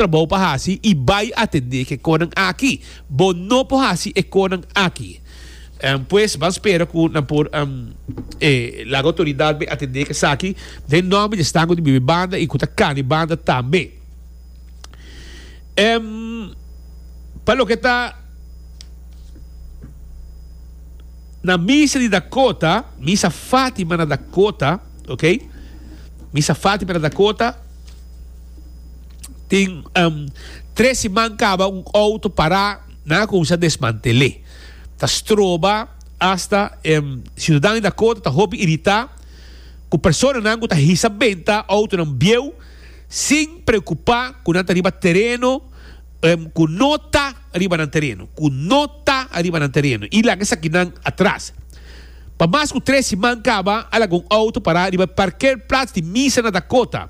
trabou pa hasi i bai atendé k'e konan aki. Bo no por hasi e konan aki. Pues, ban spera ku nan por laga outoridat bai atendé k'e saki den nòmber di esnan ku ta biba e banda i ku ta kana e banda tambe. Pa loke ta na misa di Dakota, misa Fátima na Dakota, oke, misa Fátima na Dakota, Tin tres siman kaba un outo pará nan a kuminsá desmantel'é. Ta stroba asta e siudadan di Dakota ta hopi iritá ku personanan ku ta hisa benta outonan bieu sin preokupá ku nan ta riba tereno ku no ta riba nan tereno, ku no ta riba nan tereno i laga esaki nan atras. Pa mas ku tres siman kaba a laga un outo pará riba e parkerplats di misa na Dakota.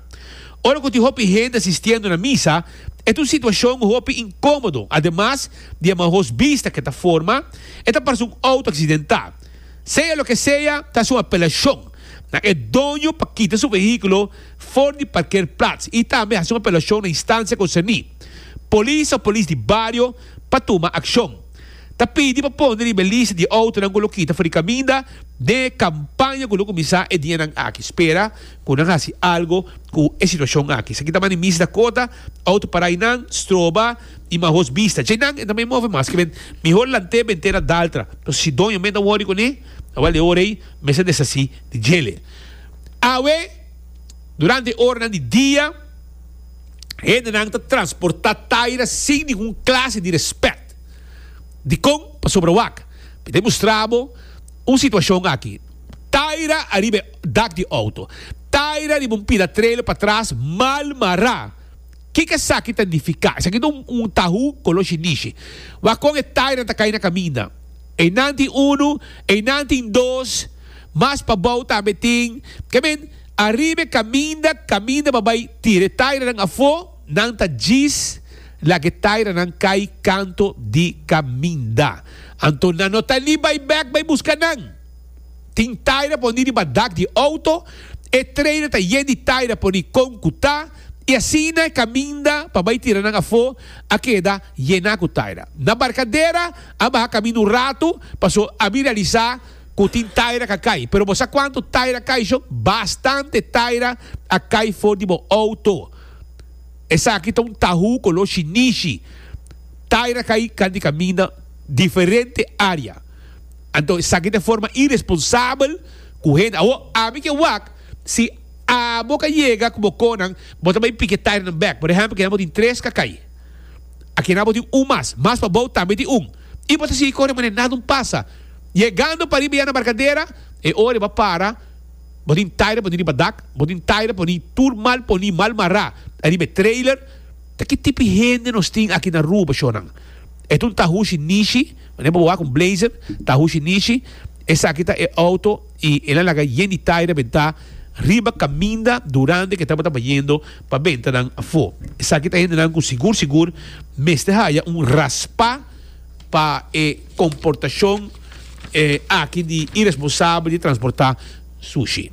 Ora ku tin hopi hende asistiendo na misa, e ta un situashon hopi inkomodo. Ademas di e maos bista ku e ta forma, e ta parse un outo aksidentá. Sea loke sea, ta hasi un apelashon na e doño pa kita su vehíkulo for di parkerplats i tambe hasi un apelashon na Instansia Konserní, Polis òf Polis di Bario pa tuma akshon. ta pidi pa pone riba e lista di outonan ku lo kita for di kaminda den e kampaña ku lo kuminsá e dianan aki. Spera ku nan hasi algu ku e situashon aki. Esaki ta manda Miss Dakota, outo parainan, stroba i mahos bista. Dje nan e ta mai move mas. Ke men mihor lant'é bent'é na daltra. Nos hasi doño men ta wòri kuné. Awal e ora ei mes ta deshasí di djele. Awe, durante e oranan di dia. Hendenan ta transportá taira sin ningun klase di rèspèt. Dikon? Pasobra wak, mi ta demostrá bo un situashon aki. Taira ariba e dak di outo. Taira riba un pida trailer patras mal mará. Kiko esaki ta nifiká? Esaki ta un tahú koló shinishi. Wak kon e tairanan ta kai na kaminda. Einan tin unu, einan tin dos, mas pabou tambe tin. Ke men? Ariba e kaminda, kaminda pa bai tira e tairanan afó, nan ta djis laga e tairanan kai kanto di kaminda. Anto nan no ta li bai bèk bai buska nan. Tin taira poní riba dak di outo, e trailer ta yen di taira poní kon ku ta, i asina e kaminda pa bai tira nan afó a keda yená ku taira. Na Barkadera a baha kaminda un ratu, paso a bin realisá, Cu tin taira ca cay. Pero bo sa cuanto taira cay sho? Bastante taira a cay for di bo auto. Esaki ta un tahu color shinishi. Taira cay can di caminda diferente area. Anto esaki ta e forma irresponsabel cu hende. Awo, ami ke wak, si abo ca yega cu bo conan, bo ta bay pike tairanan bek. Por ehempel, kinan bo tin tres ca cay. Akinan bo tin un mas. Mas pabao tambe tin un. i bo ta sigui kore manera nada un pasa. Yegando pariba ya na barkadera, e ora e bai para, bo tin taira poni riba dak, bo tin taira poni tur mal poni, mal mará ariba e trailer. Ta ki tipi hende nos tin aki na Aruba, shornan? E tun Tahushi Nishi, manera bo wak un blazer, Tahushi Nishi, esaki ta e outo i el a laga yen di taira bentá riba kaminda, durante ke tabata bayendo. pa benta nan afó. Esaki ta hendenan ku sigur sigur mester haya un raspá pa e komportashon aki di iresponsabel di transportá sushi.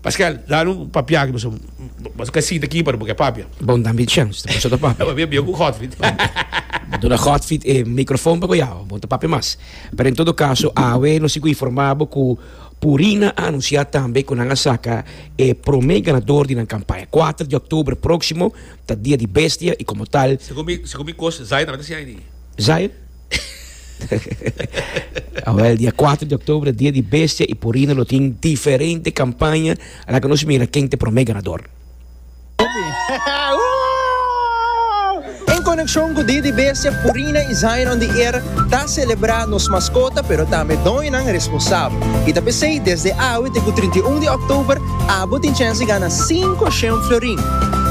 Paskel, dal un papia aki pasobra bo ka sinta aki pero bo ke papia. Bon dam e chèns ta kuminsá ta papia. Bo bia ku Godfried. Bo duna Godfried e mikrofon pa ku yao, bo ta papia mas. Pero en todo kaso awe nos si informá bo ku. Purin a anunsiá tambe ku nan a saka e promé ganador di nan kampaña. Kuater di òktober próksimo ta Dia di Bestia i komo tal. Segun mi kos, Zaire tambe ta siña aint'e. Zaire? Awèl, dia kuater di òktober ta Dia di Bestia i Purin lo tin diferente kampaña, a la ke nos mira ken ta e promé ganador. En konekshon ku Dia di Bestia, Purina i Zion on the Air ta selebrá nos maskota pero tambe doñonan responsabel. I ta p'esei desde awe te ku trinta i un di òktober abo tin chèns di gana sinku shen florin.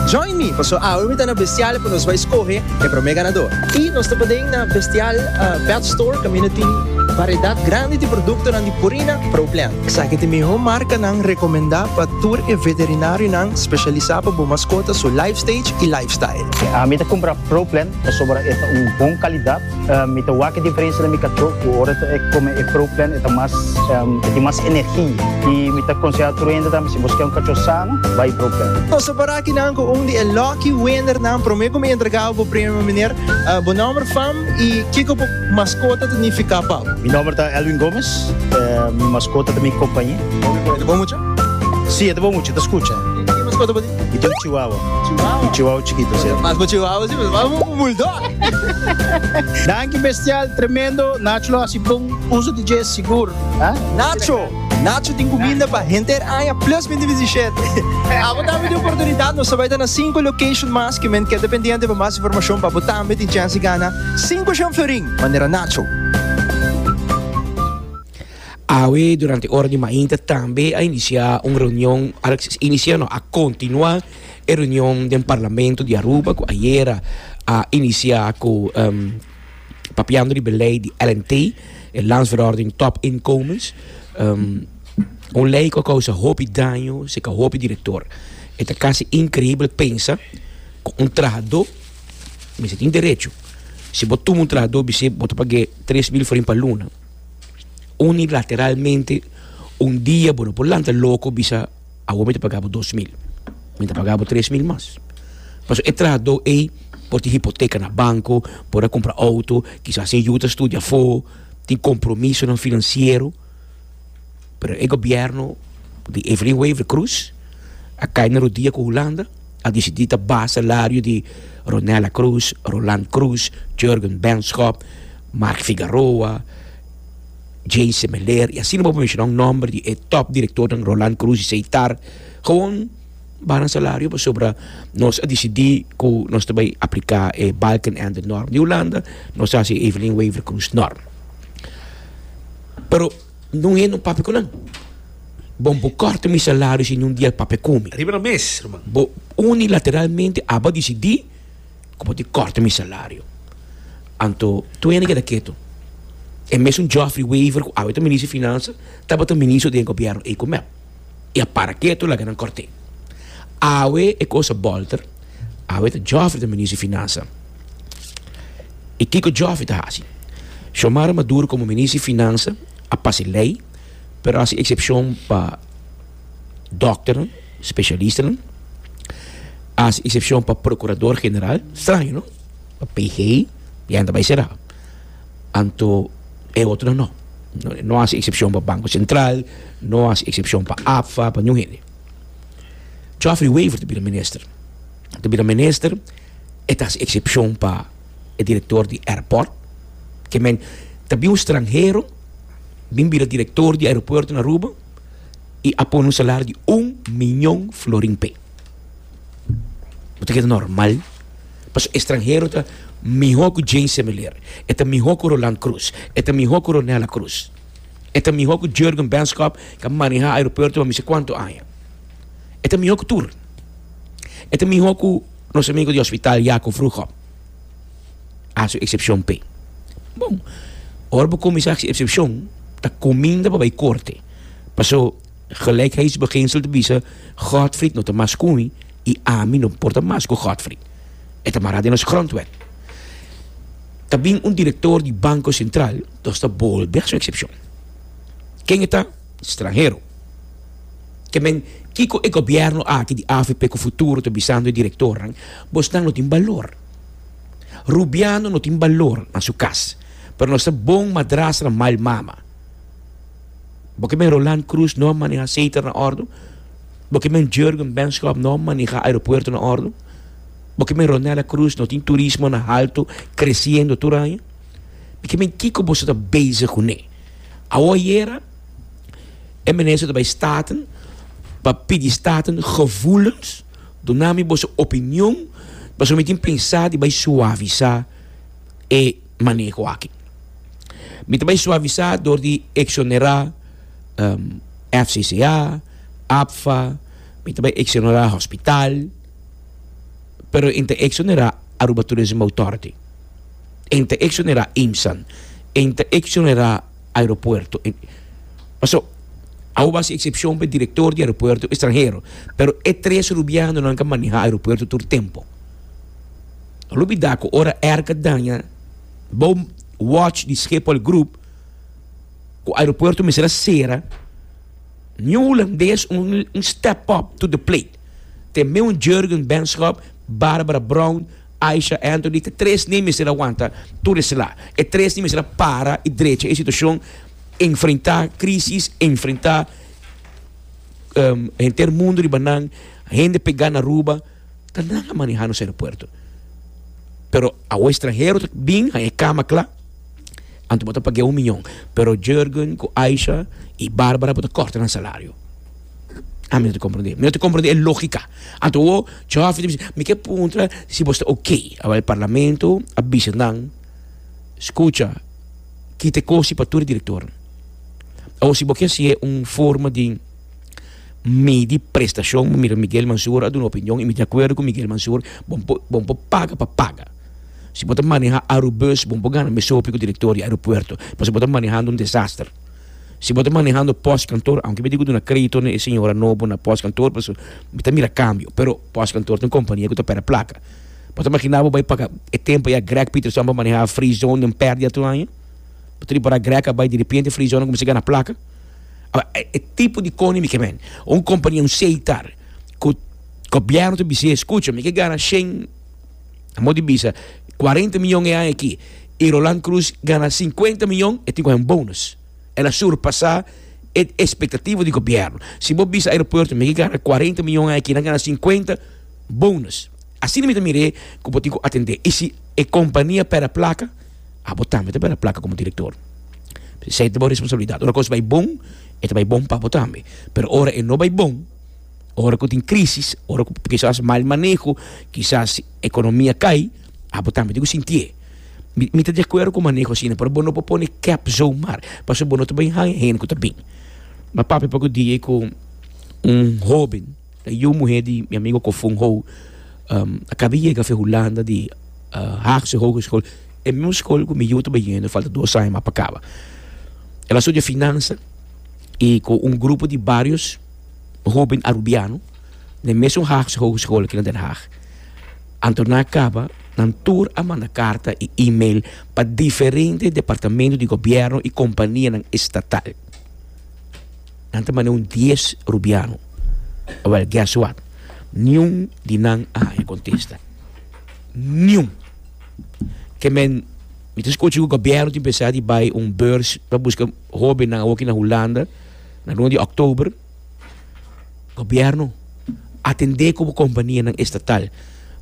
Join mi pasobra awe mi ta na Bestial pa nos bai skohe e promé ganador. I nos ta paden na Bestial Pet Store kaminda tin variedat grandi di produktonan di Purina Pro Plan. Esaki t'e mihó marka nan rekomendá pa tur e veterinarionan speshalisá pa bo maskota su life stage i life style. Mi ta kumpra Pro Plan pasobra e ta un bon kalidat. Mi ta wak e diferensia na mi kachó ku ora e kome e Pro Plan e ta mas e tin mas energi. I mi ta konseha tur hende tambe si bo skier un kachó sano bai Pro Plan. Nos ta para aki nan ku un di e lucky winner nan promé ku mi entregá bo premio miner bo nomber fam i kiko bo Maskota ta nifiká pa. Mi nòmber ta Elwin Gómez. Mi maskota ta mi kompañe. E ta bon mucha? Sí, e ta bon mucha, e ta skucha. Ki maskota bo tin? Mi tin un chihuahua. Chihuahua? Un chihuahua chikito, sí. Mas bo chihuahua si, mas bo un bulldog. Danki bestial, tremendo. Nacho lo hasi bon uso di dje, sigur. Nacho! Nacho tin kuminda pa henter aña plus binti bisishete. Abo tambe tin oportunidat. Nos ta bai ta na sinku location mas. Kimen keda pendiente pa mas informashon pa abo tambe tin chèns di gana. Sinku Jean-Fleurin, manera Nacho. Awe durante ora di mainta tambe a inicia un reunion, a inicia no, a continua e reunion den Parlamento di Aruba cu ayera a inicia cu papiando di belei di LNT, e Landsverordening Top Inkomens. Un lei cu a causa hopi daño cerca hopi director. E ta casi increíbel pensa cu un trahador. mester tin derecho. Si bo tuma un trabajador bisé bo ta pag'é tres mil forin pa luna, unilateralmente un dia bo no por lanta loko bisa awor mi ta pagabo dos mil, mi ta pagabo tres mil mas. Pasobra e trabajador ei por tin hipoteka na banco, por a kumpra outo, kisas e yu ta studia afó, tin kompromisonan finansiero. Pero e gobierno di Evelyn Wever Croes a cay na rodia cu Hulanda, a dicidi ta ba salario di Ronella Croes, Roland Croes, Jurgen Benschop, Mark Figaroa, Jay Semeler y asina bo pa menciona un nomber di e top directornan Roland Croes y Seitar, gewoon ba nan salario pasobra nos a dicidi cu nos ta bay aplica e Balkenende norm di Hulanda, nos ta haci e Evelyn Wever Croes norm. Pero. No he no papia cu nan. Bon bo corta mi salario si no un dia el papia cu mi. Riba na mes, ruman. Bo unilateralmente aba dicidi cu bo tin corta mi salario. Anto tur hende keda keto. E mesun Geoffrey Wever cu awe ta Minister di Finansa tabata Ministro den Gobierno ey cu mep. i a para ketu laga nan kòrt'é. Awe e kos a bòlter, awe ta Jòfri ta Minister di Finansa. I kiko Jòfri ta hasi? Xiomara Maduro komo Minister di Finansa a pasa e lei, pero a hasi eksepshon pa dòkternan, spesialistanan, a hasi eksepshon pa Prokurador General, straño no? Pa PG, e hende ta bai será. anto e otro no. No hasi eksepshon pa Banko Sentral, no hasi eksepshon pa APFA, pa niun hende. Geoffrey Wever ta bira minister, ta bira minister, e ta hasi eksepshon pa e direktor di airport, ke men ta bin un stranhero, bin bira direktor di aeropuerto na Aruba i a pone un salario di un miñon florin p'e. Bo ta keda normal? Pasobra estranhero ta mihó ku Jane Semiler, e ta mihó ku Roland Croes, e ta mihó ku Ronella Croes, e ta mihó ku Jurgen Benschop, ku a manehá aeropuerto pa mester kuantu aña. E ta mihó ku tur. E ta mihó ku nos amigu di hospital Jaco Vroegop. A su eksepshon p'e. Bon, ora bo kuminsá hasi eksepshon, ta kuminda pa bai korte. Paso. Gelijkheidsbeginsel ta bisa, Godfried no ta mas ku mi i ami no por ta mas ku Godfried. E ta mará den nos grondwet. Ta bin un direktor di Banko Sentral, nos ta bolbe haci un eksepshon. Ken e ta? Stranhero. Ke men, kiko e gobièrnu aki di avp ku futuro ta bisando e direktornan, Bosnan no tin balor. Rubiano no tin balor na su kas, pero nos ta bon madrastranan mal mama. Bo ke men Roland Cruz no a maneha Zeter na ordu? Bo ke men Jurgen Benschop no a maneha aeropuerto na ordu? Bo ke men Ronella Cruz no tin turismo na haltu kresiendo tur aña? Mi ke men kiko boso ta bezig ku ne. Awo ayera e Minister ta bai Staten pa pidi Staten gevoelens, duna mi boso opinion pasobra mi tin pensa di bai suavisá e maneho aki. Mi ta bay suavisá dor di exonerá FCCA, APFA, mi ta bay exonerá hospital, pero e ta exonerá Aruba Tourism Authority, e ta exonerá IMSAN, e ta exonerá aeropuerto. Paso awo bo a hasi excepcion pa e director di aeropuerto extranhero, pero e tres Rubianonan ka maneha aeropuerto tur tempo. lo bida ku ora erka daña bou wòch di Schiphol Group ku aeropuerto mester a sera, niun hulandes un step up to the plate. Te meun Jurgen Benschop, Barbara Brown, Aisha Anthony, te tres n'e mester a wanta tur e sla. E tres n'e mester a para i drecha e situashon, enfrentá krísis, enfrentá henter mundu riba nan, hende pegá na Aruba. Ta nan a maneha nos aeropuerto. Pero awo estranhero ta bin haña e kama kla, anto bo ta pag'e un miñon. Pero Jurgen ku Aisha i Barbara bo ta kòrta nan salario. Ami no ta komprendé. Mi no ta komprendé e lógika. Anto bo chòfer ta bisa, Mi ke puntra si bo sta ok. Awa e parlamento a bisa nan, Skucha, kita e kosi pa tur e direktornan. Awa si bo ke hasié un forma di. Medi prestacion, mi mira Miguel Mansoor a duna opinion y mi di acuerdo cu Miguel Mansoor, bon por bon por paga pa paga. Si bo ta maneha Aerobus bon por gana mesopi cu director di aeropuerto pasobra bo ta manehando un desaster. Si bo ta manehando postkantoor, aunke mi dico duna credito na e señora nobo na postkantoor paso mi ta mira cambio pero postkantoor ta un compania cu ta perde placa. Bo ta magina bo bay paga e tempo ya Greg Pieterson por maneha Freezone den perdia tur aña? Bo ta ripara Greg a bay derepente Freezone a cuminsa gana placa? Awa, e tipo di koni mi ke men. Un kompania, un seitar, ku gobièrnu ta bis'é, skucha, mi ke gana shen, amo di bisa, kuarenta miyon e aña aki, i Roland Cruz gana sinkuenta miyon, e tin ku haña un bonus. El a surpasá e espektativa di gobièrnu. Si bo bisa aeropuerto, mi ke gana kuarenta miyon aña aki, nan gana sinkuenta, bonus. Asina mi ta mir'é ku bo tin ku atendé. I si e kompania pèrdè plaka? abo tambe ta bira plaka komo direktor. Esei ta bo responsabilidat. Ora kos bai bon, e ta bai bon pa abo tambe. Pero ora e no bai bon, ora ku tin krisis, ora ku kisas mal maneho, kisas ekonomia kai, abo tambe tin ku sintié. Mi, mi ta di akuerdo ku maneho asina, pero bo no por pone kep zomaar, pasobra bo no ta bin haña hende ku ta bin. Mi a papia poku dia ku un hóben. E yu muhé di mi amigo Kofun Hou a kaba yega fe Hulanda di Haagse Hogeschool, e mismo skol ku mi yu ta bai yendo, e falta dos aña mas pa kaba. El a studia finansa i ku un grupo di barios hóben Arubiano na e mesun Haagse Hogeschool aki na Den Haag. Anto nan a kaba, nan tur a manda karta i email pa diferente departamentu di gobièrnu i kompanianan estatal. Nan ta manda un dies rubiano. Wel, guess what? Niun di nan a haña contesta. Niun! Ke men, mi ta scochi cu gobierno tin pensa di bay un beurs pa busca hobennan awoki na Hulanda, na luna di Oktober. Gobierno, atende cu bo companianan estatal.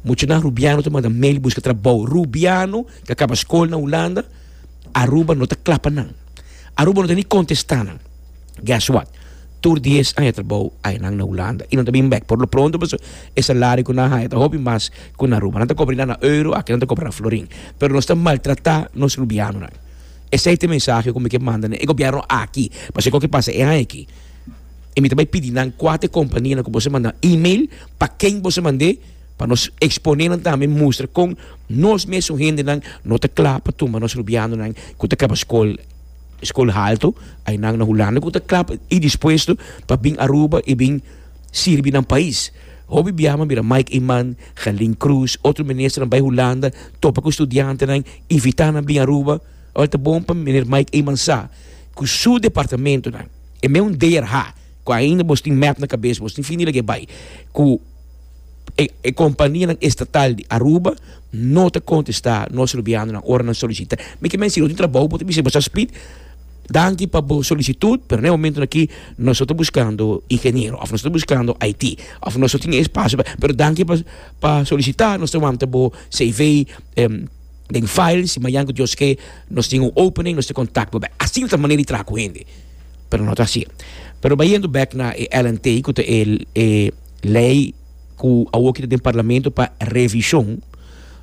Muchanan rubiano ta manda mail busca trabou. Rubiano ke a caba scol na Hulanda, Aruba no ta clapa nan. Aruba no ta ni contesta nan. Guess what? Tur di es aña trabou aña nan na Hulanda y nan ta bin bek. Por lo pronto paso e salario cu nan haya ta hopi mas cu na Aruba. Nan ta cobra na euro, aki nan ta cobra na florin. Pero nos ta maltrata nos rubianonan. Esey ta e mensahe cu mi ke manda na e gobierno aki. Pasobra escoge pasa e aña aki y mi ta bay pidi nan cua ta e companianan cu boso a manda email, pa ken boso a mand'e, pa nos expone nan tambe mustra con nos mes un hendenan no ta cla pa tuma nos rubianonan cu ta caba scol. School halto ai nan na Hulanda ku ta kla pa i dispuesto pa bin Aruba i bin sirbi nan pais. Hopi bia man bira Mike Eman, Gelin Croes, otro minister nan bai Hulanda topa ku studiantenan invita nan bin Aruba. Ora ta bon pa Meneer Mike Eman sa ku su departamentonan e meun DRH ku ainda bos tin mep na kabes bos tin fini lag'e bai ku. e e kompanianan estatal di Aruba no ta kontestá nos rubianonan ora nan solisitá. Mi ke mens'ei, nos tin trabou, bo ta bisa bo sa spit, danki pa bo solisitut, pero na e momentonan akí nos no ta buskando ingeniero òf nos no ta buskando IT òf nos no tin e espasio pa pero danki pa pa solisitá, nos ta wanta bo CV den file, si mañan ku Dios ke nos tin un opening nos ta kontak bo bèk. Asina ta e manera di traha ku hende, pero no ta asi. Pero bayendo bèk na e LNT ku ta e e. Lei ku awor kita den parlamento pa revishon.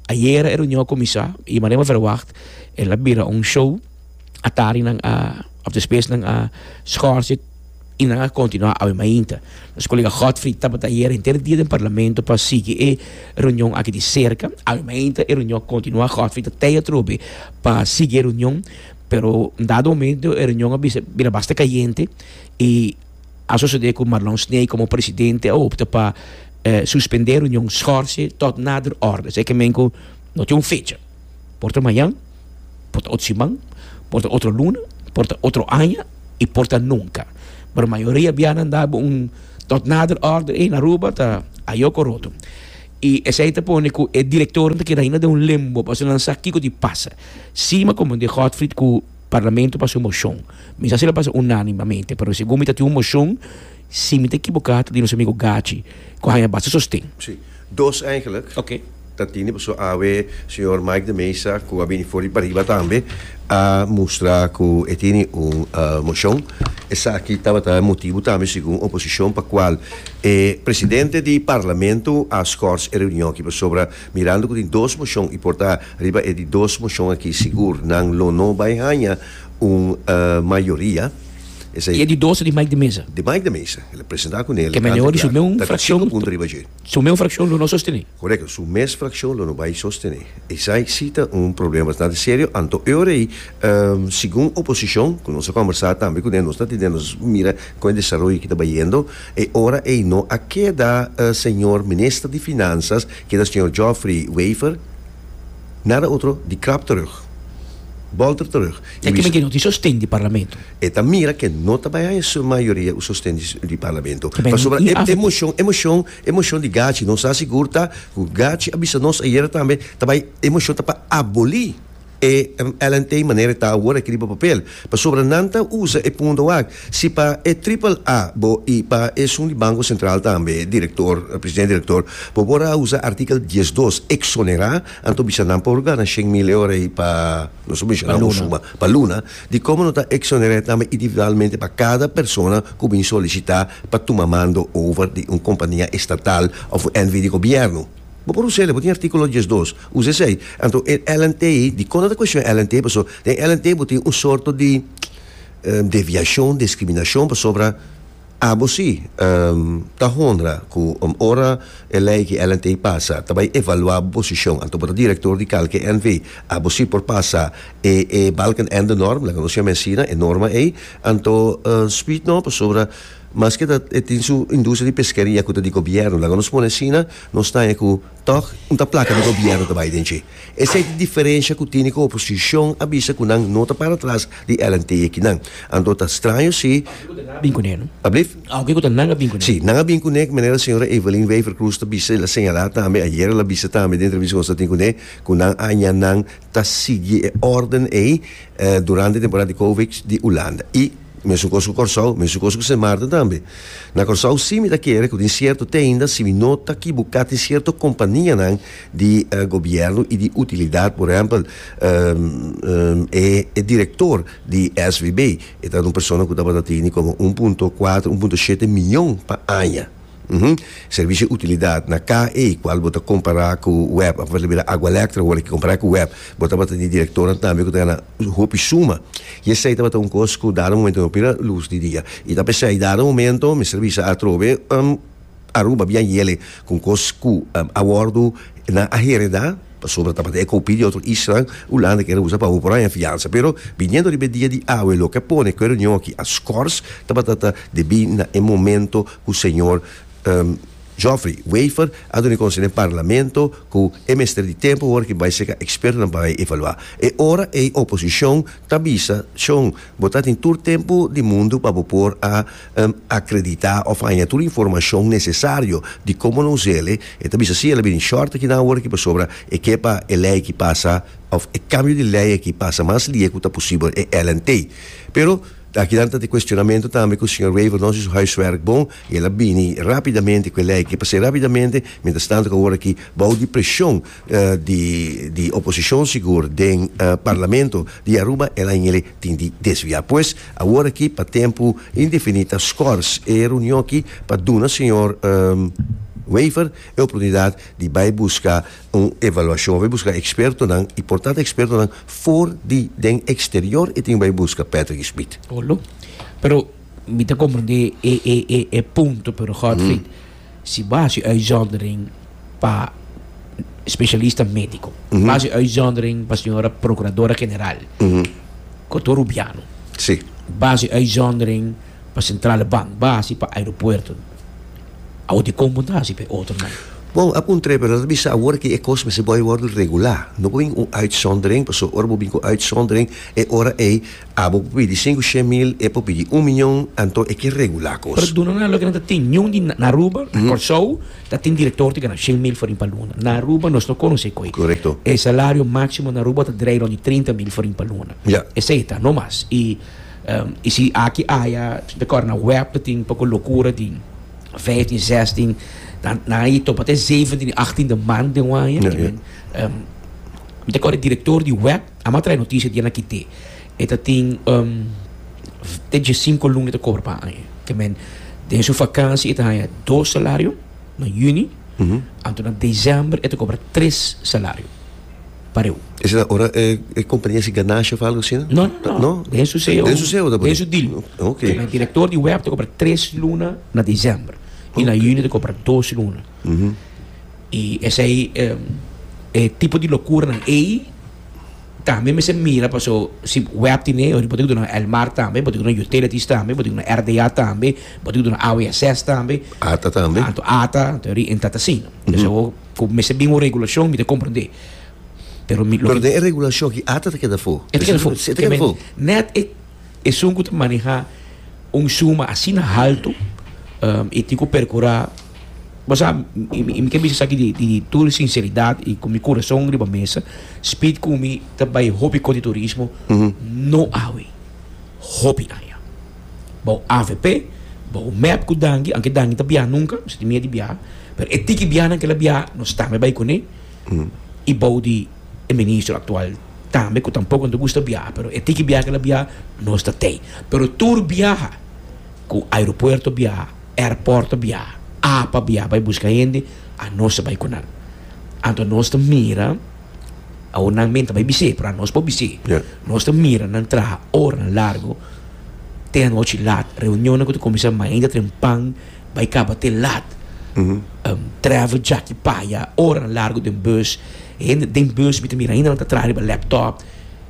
Ayera e reunion a kuminsá i manera mi a verwagt el a bira un show. Atarinan a, òf despesnan a skòrse i nan a kontinuá awe mainta. Nos kolega Godfrey tabata ayera henter dia den parlamento pa sigui e reunion aki di serka. Awe mainta e reunion a kontinuá. Godfrey ta tei atrobe pa sigui e reunion, pero un dado momento e reunion a bisa bira basta kayente i. a sosodé ku Marlon Snee komo presidente a opta pa suspendé reunion, skòrse tòt nader òrdes. E ke men ku no tin un fecha. Por ta mañan, por ta otro siman, por ta otro luna, por ta otro aña i por ta nunka. Pero mayoria bianan dal un tòt nader òrder ei na Aruba ta ayok o roto. I esei ta pone ku e direktornan ta keda ainda den un limbo pasobra nan sa kiko di pasa. Sima komandé Godfried ku. Parlamento pasa un moshon. Mi sa si lo pasa unánimamente, pero segun mi ta tin un moshon, si mi ta ekiboká, ta di nos amigu Gachi ku a haña basta sosten. Sí, dos eigenlijk Ok. ta tene pasobra awe señor Mike de Meza ku a bini for di pariba tambe a mustra ku e tene un moshon. Esaki tabata e motibu tambe segun oposishon pa kual e presidente di Parlamento a skors e reunion aki pasobra Mirando cu tin dos mocion y por ta riba e di dos mocion aki sigur nan lo no bay haya un mayoria, esey. Y e di dos ta di Mike de Meza. Di Mike de Meza, el a presenta cun'e, el a canta di harto, ta cu cinco punto riba dje. Su meun fraccion lo no sostene. Corecto, su mes fraccion lo no bay sostene. Esey si ta un problema bastante serio, anto e ora ey, segun oposicion, cu nos a conversa tambe cun'e, nos ta tende nos mira con e desaroyo aki ta bayendo. E ora ei no a keda e señor Minister di Finansas, keda señor Geoffrey Wever, nada otro di krap terug, bolter terug, i wis. Tekimeki no tin sosten di Parlamento. E ta mira ke no ta bai haña su mayoria u sosten di Parlamento. Pasobra e e moshon, e moshon, e moshon di Gachi, nos ta sigur ta ku Gachi a bisa nos ayera tambe, ta bai, e moshon ta pa aboli. E lnt manera e ta awor a kiri bo papel, pasobra nan ta usa e punto wak, si pa e Triple-A bo i pa esun di Banko Sentral tambe, direktor, presidente direktor, bo por a usa artikel dies dos, eksonerá, anto bisa nan por gana shen mil euro ei pa, nos a menshoná un suma, pa luna, di komo no ta eksonerá tambe individualmente pa kada persona ku bin solisitá pa tuma mando over di un kompania estatal òf un NV di gobièrnu. Bo por us'el, bo tin artíkulo diesdos, usa esei. Anto e LNT di kon a ta kueshon LNT paso den LNT bo tin un sorto di deviashon, diskriminashon pasobra abo si ta honra ku ora e lei di LNT pasa ta bai evaluá bo posishon anto bo ta direktor di kalke NV abo si por pasa e e balkenendenorm laga nos yama e asina e norma ei anto speed no pasobra Maske ta e tin su industria di peskeria ku ta di gobièrnu, laga nos pone asina, nos ta haña ku tòg un ta plaka di gobièrnu ta bai den dje. Esei ta e diferensha ku tini ku oposishon a bisa ku nan no ta para atras di el a nteya kinan. Anto ta straño si. Bin kuné no? Alblief? Alke ku ta nan a bin kuné. Si, nan a bin kuné, manera señora Evelyn Wever-Croes ta bisa, el a señalá tambe ayer, el a bisa tambe den entrevista ku nos a tin kuné, ku nan a haña nan ta sigui e órden ei durante e temporada di Covid di Ulanda. I. Mesun kos ku Kòrsou, mesun kos ku Sint Maarten tambe. Na Kòrsou si mi ta kere ku tin sierto teinda si mi no ta kibukà tin sierto kompanianan di gobièrnu i di utilidat por ehèmpel e direktor di SVB e ta un persona ku tabata tini komo un punto kuater un punto shete miyon pa aña servisio utilidat na ka ei kual bo ta kompará ku web bo ta bira agualèktra wòrdu ki kompará ku web bo tabata di direktornan tambe ku ta gana hopi suma y esey tabata un cos cu dado momento mi a pira luz di dia y ta pesey dado momento mester bisa atrobe Aruba bien yele con cos cu a wordo nan a hereda pasobra tabata e copia di otro isla Hulanda kende usa pa hopi por aña fiansa pero biniendo riba e dia di awe loke a pone cu e reunion aki a schors tabata ta debi na e momento cu señor. Geoffrey Wafer a duna e konsho n'e parlamento ku e mester di tempu ora ki bai seka ekspertonan pa bai evaluá. E ora ei oposishon ta bisa, Shon, bo ta tin tur tempu di mundu pa bo por a akreditá òf haña tur informashon nesesario di komo lo us'ele. E ta bisa, Sí, el a bini short aki na ora aki pasobra e ke pa e lei aki pasa òf e kambio di lei aki pasa mas lia ku ta posibel, e lnt. Pero akinan ta t'e kuestionamentu tambe ku señor Wafer no hasi su huiswerk bon. I el a bini rápidamente ku e lei akí pas'e rápidamente, miéntras tantu ku awor akí, bou di preshon di di oposishon sigur den Parlamento di Aruba el a hingele tin di desviá. Pues awor akí pa tempu indefiní ta skòrs e reunion akí pa duna señor Wever e oportunidat di bai buska un evaluashon, a bai buska ekspertonan i por tanta ekspertonan for di den eksterior e tin ku bai buska Patrick Schmit. Olo, pero. Mi ta comprende e e e e punto, pero Godfried, si bo haci uitzondering pa specialista medico, bo haci uitzondering pa señora procuradora general, Cotto Rubiano, Sí. bo haci uitzondering pa Centrale Bank, bo haci pa aeropuerto, awo di con bo no ta haci pa e otro nan? Bon, a puntra e, pero lo ta bisa awor cu e cos mester bay worde regulá. No por bin cu un uitzondering, pasobra ora bo bin cu uitzondering, e ora ey, Abo por pidi sinku she mil, e por pidi un miñon, anto e ke regulá kos. Perduna nan loke nan ta tin. Niun di na Aruba, na Kòrsou, ta tin direktor ti gana shen mil forin pa luna. Na Aruba nos no konosé koe. Korekto. E salario máksimo na Aruba ta drei rònt di trinta mil forin pa luna. Ya. Esei ta, no mas. I i si aki aya, ta kòrda na wèp ta tin un poko lokura di vijftien, zèstien, nan nan a topa te zeventien i achtien de mant den wanje. Mi ta kòrda e direktor di wèp Amo a trae noticia di e na kite e ta tin te diesinco luna e ta cobra pa aña. Te men den su vakantie e ta haya dos salario na juni anto na december e ta cobra tres salario pa reu. Ese ta ora e e compania hasi ganashi of algo asina? No, no, no. Den su ceo. Den su ceo ta por Den su deal. Te men director di web ta cobra tres luna na december y na juni ta cobra dos luna. Y esey e tipo di locuranan ey tambe mester mira paso si web tin e, bo tin ki duna el mar tambe, bo tin ki duna utilities tambe, bo tin ki duna RDA tambe, bo tin ki duna AWSS tambe, Ata tambe. anto ata, anto e riente ta asina. Entonces awo cu mester bin un regulacion mi ta comprende. Pero mi lo Pero ki den e regulacion aki ata ta keda for. e ta keda for. Esei ta keda for. Net e. Esun ku ta maneha un suma asina haltu e tin ku perkurá, bo sa, i mi ke bisa esaki di di tur sinseridat i ku mi kurason riba mesa, spit ku mi ta bai hopi kotiturismo no awe, hopi aña. Bou avp, bou mep ku Danki, aunke Danki no ta biaha nunka, mi sinti mier di biaha, pero e tiki biahanan ke el a biaha nos tambe bai kuné. i bou di e ministro aktual tambe ku tampoko ta gusta biaha pero e tin ki biaha kila biaha nos ta tei pero tur biaha ku aeropuerto biaha airporto biaha apa biaha bai buska hende anos ta bai ku nan anto nos ta mira awor nan men ta bai bis'é pero anos por bis'é nos ta mira nan traha oranan largo te anochi lat reunionnan ku ta kuminsá mainta trempan. Bai kaba te lat. Um driver djaki paya oranan largu den bus. E hende den bus mi ta mira ainda nan ta traha riba laptop.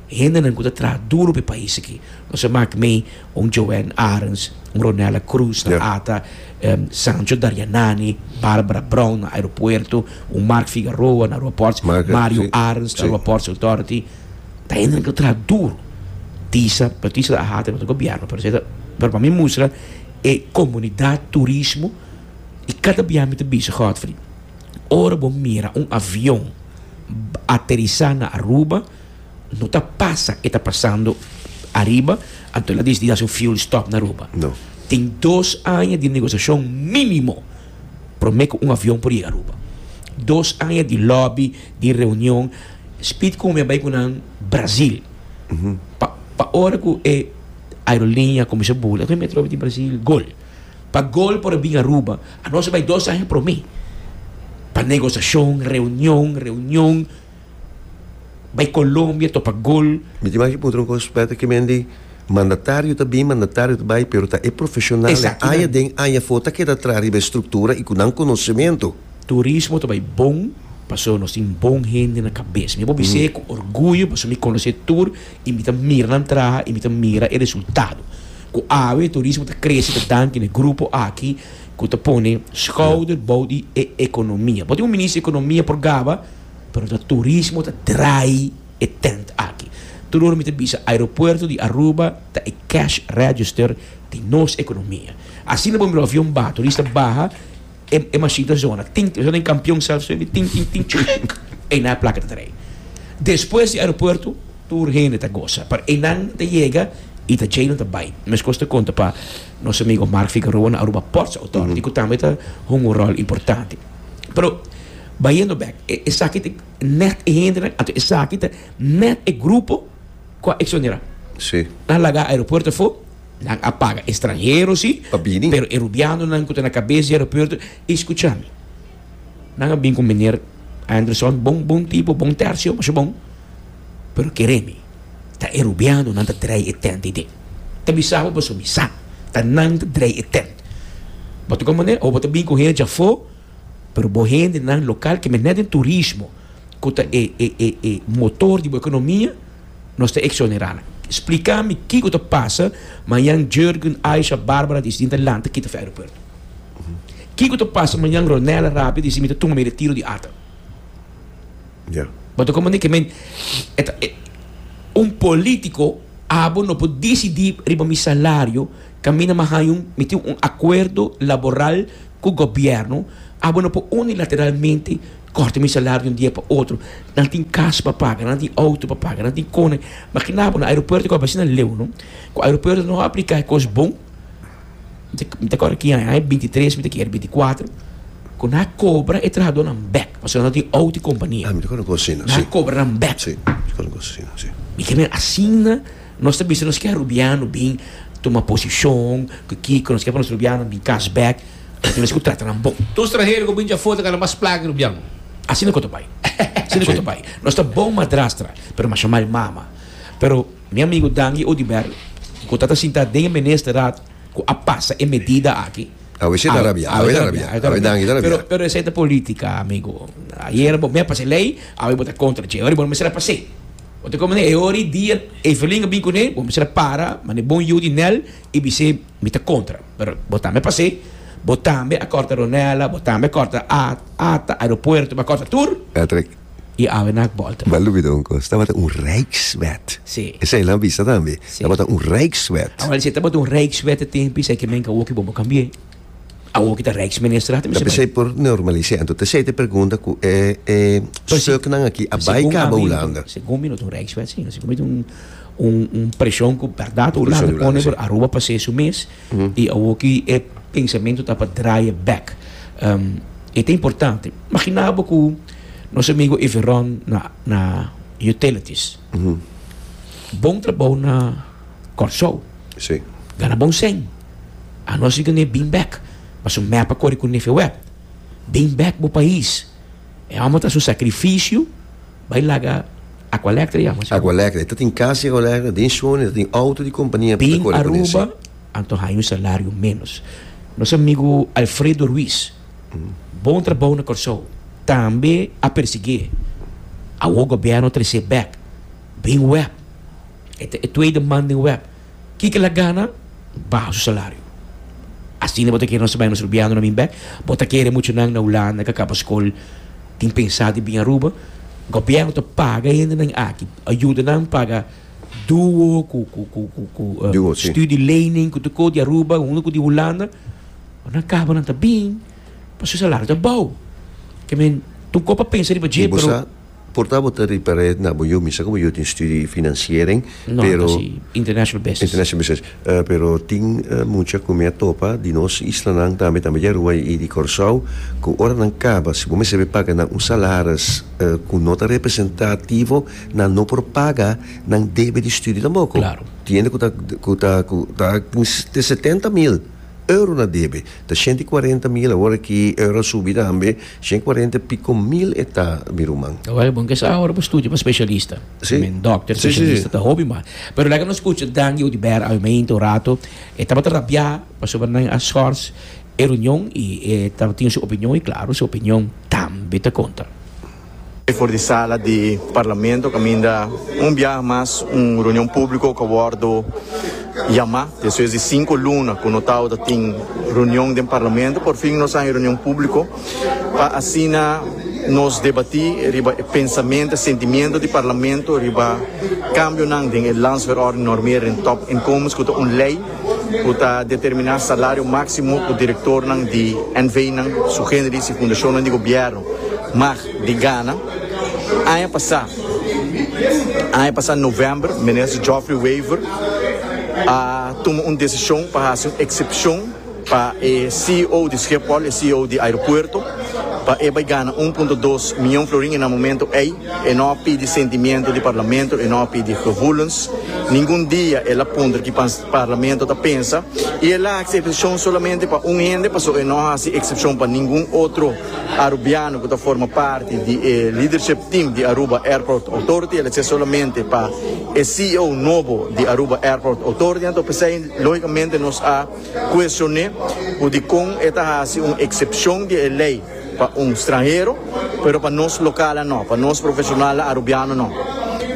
E hendenan ku ta traha duru pa e pais aki. Nos a maki mei un Joan Arens, un Ronella Cruz na ata, um Sancho Darianani, Barbara Brown na aeropuerto, un Mark Figaroa na Ruaport, Mario Arens na Ruaports Authority. Ta hendenan ku ta traha duru. Disa notisia ta hata riba gobièrnu pero esei ta pero pa mi mustra e comunidad turismo y cada bia mi ta bisa Godfrey ora bo mira un avion aterisa na Aruba no ta pasa e ta pasando ariba anto el a dicidi haci un fuel stop na Aruba no tin dos aña di negociacion minimo prome cu un avion por yega Aruba dos aña di lobby di reunion Speed cu mi a bay cu nan Brasil pa ora cu e aerolinia kuminsá bula. Esaki mi a trobe di Brasil, gol. Pa gol por a bin Aruba, anos a bai dos aña promé. Pa negosiashon, reunion, reunion, bai Colombia topa gol. Mi tin maki puntra un kos spèt aki, men di mandatario ta bin, mandatario ta bai, pero ta e profeshonalnan aña den, aña for ta keda tras riba e struktura i ku nan konosementu. Turismo ta bai bon pasobra nos tin bon hende na kabes. Mi a por bis'é ku orguyo pasobra mi konosé tur y mi ta mira nan traha y mi ta mira e resultado cu awe turismo ta crece ta danki na e grupo aki cu ta pone schouder bou di e economia. Bo tin un minister di economia por gaba pero ta turismo ta draai e tent aki. Tur ora mi ta bisa aeropuerto di Aruba ta e cash register di nos economia. Asina bo mira avion baha, turista baha. E e mashita zona tin tin, den kampion sèlf su tin tin tin tin chuc einan a plaka ta trei. Despues di aeropuerto tur hende ta gosa pero einan ta yega i ta djei nan ta bai. Meskos ta konta pa nos amigo Mark Figueroa na Aruba Ports Authority ku tambe ta hunga un ròl importante. Pero bayendo bèk e esaki ta nèt e hendenan anto esaki ta nèt e grupo ku a eksponerá. Si. Nan laga aeropuerto afó. Nan a paga estranhero si, pa bini. Pero e rubianonan ku ta na kabes di aeropuerto, i skucha mi. Nan a bin ku Meneer Anderson, bon bon tipo, bon tercio, masha bon. Pero kere mi, ta e rubiano nan ta drei e tent ei den. Ta bisa bo pasobra mi sa, ta nan ta drei e tent. Bo ta komo manera o bo ta bin ku hende dja afó. Pero bo hendenan lokal ke mester den turismo, ku ta e e e e motor di bo ekonomia, nos ta eksonerá nan. Splika mi kiko ta pasa mañan Jurgen, Aisha, Barbara di Sidinta lanta kita fi aeropuerto? Kiko ta pasa mañan Ronella rapia di si mi ta tuma mi retiro di ata? Ya. Bo ta komprendé ke men e ta e un polítiko abo no por disidí riba mi salario, Caminda mas haño mi tin un acuerdo laboral cu gobierno, abo no por unilateralmente corta mi salario di un dia pa otro. Nan tin cas pa paga, nan tin auto pa paga, nan tin cona. Makina bo na aeropuerto cu aba asina leu, no? Cu aeropuerto no a aplica e cos bon. Mi ta acorda ki aña bintitres, mi ta kere binticuatro, cu nan a cobra e trahadornan bek pasobra nan no tin auto y compania. Ah, mi ta acorda un cos asina, si. Nan a cobra nan bek. Si, mi ta acorda un cos asina, si. Mi kere asina. Nos ta bisa nos ke arubiano bin tuma posishon ku kiko, nos ke pa nos rubianonan bin kas bèk, nos ke mes ku trata nan bon. Tur stranhero ku bin dja for ta kala mas plaga ke rubiano. Asina ku ta bai, asina ku ta bai. Nos ta bon madrastra, pero masha mal mama. Pero mi amigu Dangi Odiber, ku ta ta sinta den e Ministerat ku a pasa e medida aki, Awe shi ta rabia, awe ta rabia, awe Dangi ta rabia. Pero esei ta politika, amigu. Ayera bo mep pasa e lei, awe bo ta kontra dje. Ora bo no mester a pas'e. Bo ta komo, E ora i dia Evelyn a bin kuné, bo mester a para manera bon yu di Nel i bis'é, Mi ta kontra. Pero bo tambe a pas'é. Bo tambe a kòrta Ronella, bo tambe a kòrta At, Ata, aeropuerto, bo a kòrta tur. Patrick, I a wena ak bòlta. Bo a lubida un kos, tabata un rijkswet. Sí. Esei nan a bisa tambe. Sí. Tabata un rijkswet. Awor, si tabata un rijkswet e tempu esei ke men ka wok i bon bo kambi'é. Awor ki ta Rijksminister aki mester bay. Por normalisé anto ta esei ta e pregunta ku e e stuknan aki a bay kaba Hulanda. Segun mi no ta un rijkswet sino segun mi ta un preshon ku bèrdat Hulanda pone for Aruba pa haser su mes i awor ki e pensamentu ta pa draaie bèk. E ta importante. Magina bo ku nos amigu Everon na na utilities. Bon trabou na Kòrsou. Sí. Gana bon sèn. Anos riba n'e bin bèk. Paso mèp a kore ku Nefe Wèb. Bin bèk bo pais. E hòmber ta haci un sakrifisio bai laga Aqualèktra e hòmber. Aqualèktra. E ta tin kas di Aqualèktra. Den Shone ta tin outo di kompania pa ta kore ku nesei. Bin Aruba anto haña un salario ménos. Nos amigu Alfredo Ruiz. Bon trabou na Kòrsou tambe a persiguié. Awor gobièrnu a tresé bèk bin web. E ta e tuei di man den web. Kiko el a gana? Baha su salario. Asina bo ta kere nos ta bai nos rubiando na Minbèk? Bo ta kere muchunan na Hulanda ku a kaba skol tin pensá di bin Aruba? Gobièrnu ta paga hendenan aki, a yuda nan paga duo ku studielening ku tu ko di Aruba hunga ku di Hulanda. Ora nan kaba nan ta bin pa su salario ta bou. Ke men ta un kos pa pensa riba dje pero. Y bo sa porta bo ta reparé na bo yu misa ku bo yu tin studie financiering pero. No, nan ta si international business. International business. Pero tin mucha ku mi a topa di nos islanan tambe tambe di Aruba y di Kòrsou ku ora nan kaba si bo mester be paga nan un salaris ku no ta representativo nan no por paga nan debe di studie tampoco. Claro. Tiende ku ta ku ta ku ta tin setenta mil. Euro na debe ta shent i kuarenta mil awor aki euro a subi tambe shent i kuarenta i piko mil e ta mi ruman. Awor e bon ke sa awor bo studia pa speshalista I mean dòkter speshalista ta hopi mas pero lèk nos kucha Danny Odiber Almeida un rato e tabata rabiá pasobra nan a shòrs e runion i e tabata tin su opinion i klaru su opinion tambe ta kontra. E for di sala di Parlamento caminda un biaha mas un reunion publico cu a wordo yama. Despues di cinco luna cu no tawata a tin reunion den Parlamento por fin nos a haña reunion publico pa asina nos debati riba e pensamento, e sentimiento di Parlamento riba cambionan den e landsverordening norme den top inkomens cu ta un ley cu ta determina salario maximo cu directornan di NVnan, su genderis y fundacionnan di gobierno. Mag di Ghana. Aña pasá, aña pasá novèmber, minister Geoffrey Wever a tuma un desishon pa hasi un eksepshon pa e ceo di Schiphol, e ceo di aeropuerto, pa e bai gana un punto dos mion florin i na momento ei e no a pidi sentimiento di parlamento, e no a pidi gevoelens, ningun dia el a puntra ki parlamento ta pensa i el a hasi eksepshon solamente pa un hende pasobra e no a hasi eksepshon pa ningun otro. Arubiano cu ta forma parti di e Leadership Team di Aruba Airport Authority. El a ser solamente pa e CEO nobo di Aruba Airport Authority. Anto pesey logicamente nos a cuestione cu dicon e ta haci un excepcion di e ley pa un stranhero, pero pa nos localan no, pa nos profesionalnan Arubiano no.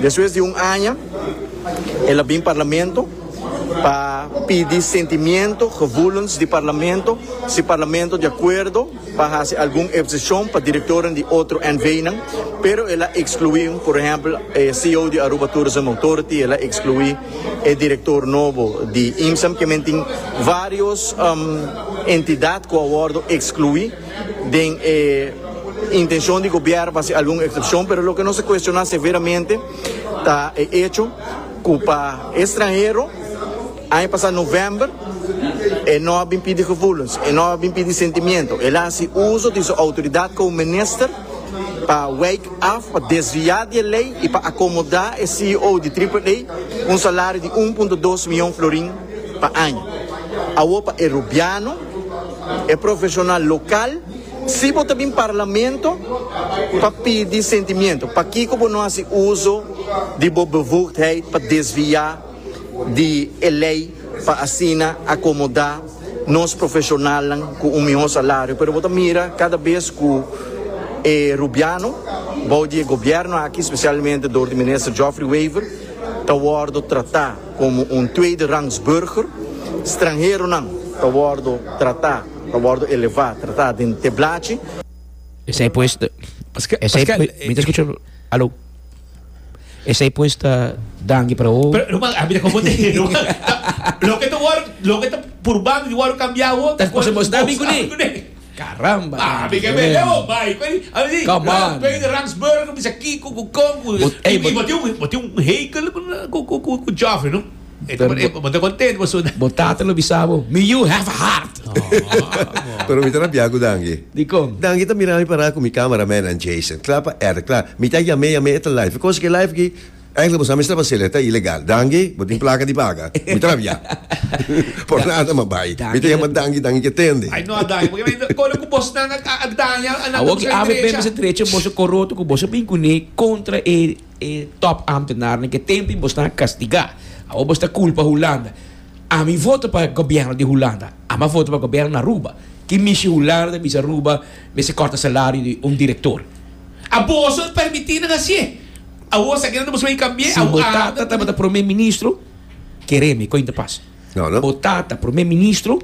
Despues di un aña el a bin Parlamento pa pidi sentimiento, gevoelens di Parlamento, si Parlamento di acuerdo. pa hasi algun epsishon pa direktornan di otro NVnan, pero el a ekskluí, por ehèmpel, e CEO di Aruba Tourism Authority, el a ekskluí e direktor nobo di IMSEM. Ke men tin vários entidat ku a wòrdu ekskluí den e intenshon di gobièrnu pa hasi algun eksepshon, pero loke nos a kueshoná severamente ta e echo ku pa e stranhero, Aña pasá novèmber, e no a bin pidi gevoelens, e no a bin pidi sentimiento, el a hasi uso di su outoridat komo minister pa wijk af, pa desviá di e lei i pa akomodá e ceo di Triple A ku un salario di un punto dos mion florin pa aña. Awor pa e Rubiano, e profeshonal lokal, si bo ta bin parlamento pa pidi sentimiento, pakiko bo no hasi uso di bo bevoegdheid pa desviá di e lei pa asina akomodá nos profeshonalnan ku un mihó salario. Pero bo ta mira kada bes ku e Rubiano, bou di e gobièrnu aki, spesialmente dor di minister Geoffrey Wever, ta wòrdu tratá komo un tweede rangs burger, stranheronan ta wòrdu tratá, ta wòrdu elevá, tratá den teblachi. Esei pues ta, esei, mi ta skucha, aló. Esei pues ta danki para awo. Pero ruman a mi ta confundí ruman ta loke ta wòrdu loke ta purbando di wòrdu kambiá awo ta kos mos ta bin kuné caramba a mi ke mele awo bai kuné a mi si rans bai di rans burger bisa kiko ku kon ku i bo tin bo tin un heikel ku ku ku jòfren no. Pero bo, bo ta content bo suna. Bo tata lo bisa bo, mi yu have a heart. Pero mi ta na bia cu Dangi. Dicon? Dangi ta mira mi para cu mi camera man and Jason. Cla pa edit, cla. Mi ta yame, yame e ta live. Because ki e live aki, eigenlijk bo sa mester pa haciel, e ta ilegal. Dangi, bo tin placa di paga. Mi ta na bia. Por nada mas bay. Mi ta yama Dangi, Dangi ke tende. Ay no a Dangi, porque mi ta, Colo cu bosnan a, a, a daña, a nan ta busca e drecha. Awo ki AVP mester drecha boso coroto cu boso bin cune contra e. E top ambtenarnan ke tempi bo sta kastigá. Awor bo sta kulpa Hulanda. Ami vota pa gobièrnu di Hulanda. Ami a vota pa gobièrnu na Aruba. Ki mishi Hulanda ta bisa Aruba mester kòrta salario di un direktor? Aborso permití nan hasié. Awor esaki nan ta busca e kambié. Si bo tata tabata promé ministro, keré mi, koin ta pasa? Potata prome ministro,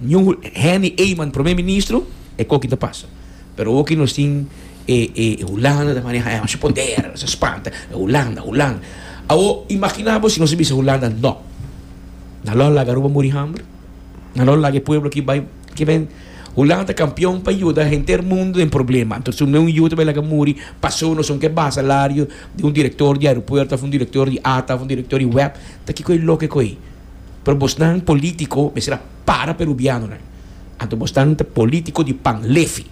Ñu Henny Eyman prome ministro, e koki ta pasa. Pero oki nos tin e e Hulanda ta maneha e masha poder, nos ta spanta, Hulanda, Hulanda. Awo imagina bo si nos a bisa Hulanda no, nan lo a laga Aruba muri hamber? Nan lo a laga e pueblo aki bai, ke men, Hulanda ta kampion pa yuda henter mundu den problema, anto su neun yu ta bai laga muri, paso nos son ke basalario di un direktor di aeropuerto of un direktor di ata of un direktor di web. Ta kiko e loke ko ei? Pero bosnan politico mester a para perubianonan. Anto bosnan ta politico di pan lefi.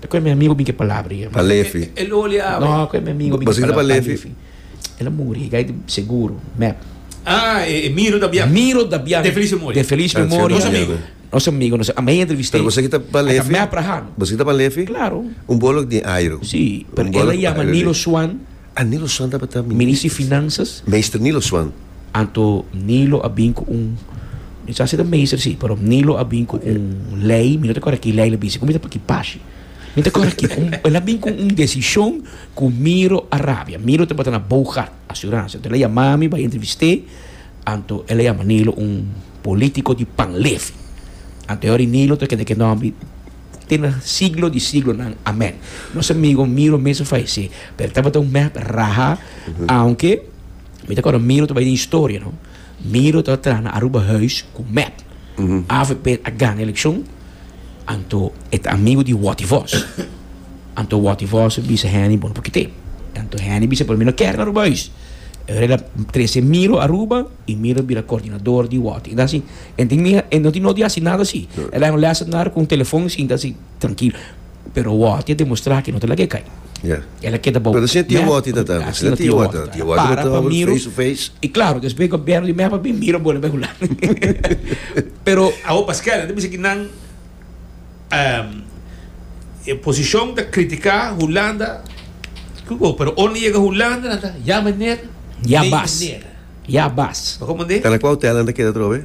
Ta ko e mi amigo bin ku e palabra ei. Pan lefi? No, ko e mi amigo bin ku e palabra pan lefi. Bo sinti pan lefi? El a muri, gai di seguro, mep. Ah, e Miro Dabian. Miro Dabian. De feliz memoria. De feliz memoria. Nos amigo. Nos amigo, nos amigo. Ami a entrevist'é. Pero bo sinti ta pan lefi? Bo sinti ta pan lefi? Claro. Un bolok di airo. Si, pero el a yama Nino Swan. Anilo Swan tabata Minister. Minister di Finanzas. Meester Nilo Swan. Anto Nilo a bin ku un, mi sa si ta meester si, pero Nilo a bin ku un lei, mi no ta kòrda ki lei el a bin si, kòmpiensa pa ki pashi. Mi no ta kòrda ki, el a bin ku un desishon ku miro a rabia. Miro tabata na Boogaard Asuransia. Anto el a yama mi bai entrevist'é, anto el a yama Nilo un polítiko di panlefi. Anto e ora ei Nilo ta keda ke nòmber. te na siglo di siglonan. Amén. Nos amigo Miro mester fallecé, pero e tabata un meh raha, aunke mi ta acorda Miro ta bay den historia, no. Miro ta tra na Aruba huis cu mep. Avp a gana eleccion, anto e ta amigo di Watty Vos. Anto Watty Vos a bisa Henny bon por kite. Anto Henny bisa por mi no ker na Aruba huis. Henry a trece Miro Aruba y Miro a bira coordinador di Watty. Enta asin. E tin mira, e no tin no di hasi nada si. E laga un lesson na cu un telefon, sinta si trankilo. Pero Wati a demostra cu e no ta laga e cay. El a keda bou. Asina tia Wati ta ta. Asina tia Wati ta ta. Tia Wati no ta tabata miru. Face to face. I claro, despues e gobierno di Mehba bin mira bo na bey hulanda. Pero. Awo pa Schelle ta bisa cu nan e posicion ta critica Hulanda. Cu bo, pero ora nan yega Hulanda nan ta ya meneer, nee meneer. Ya bas. Pa komo de? Cana cu hotel nan ta keda atrobe?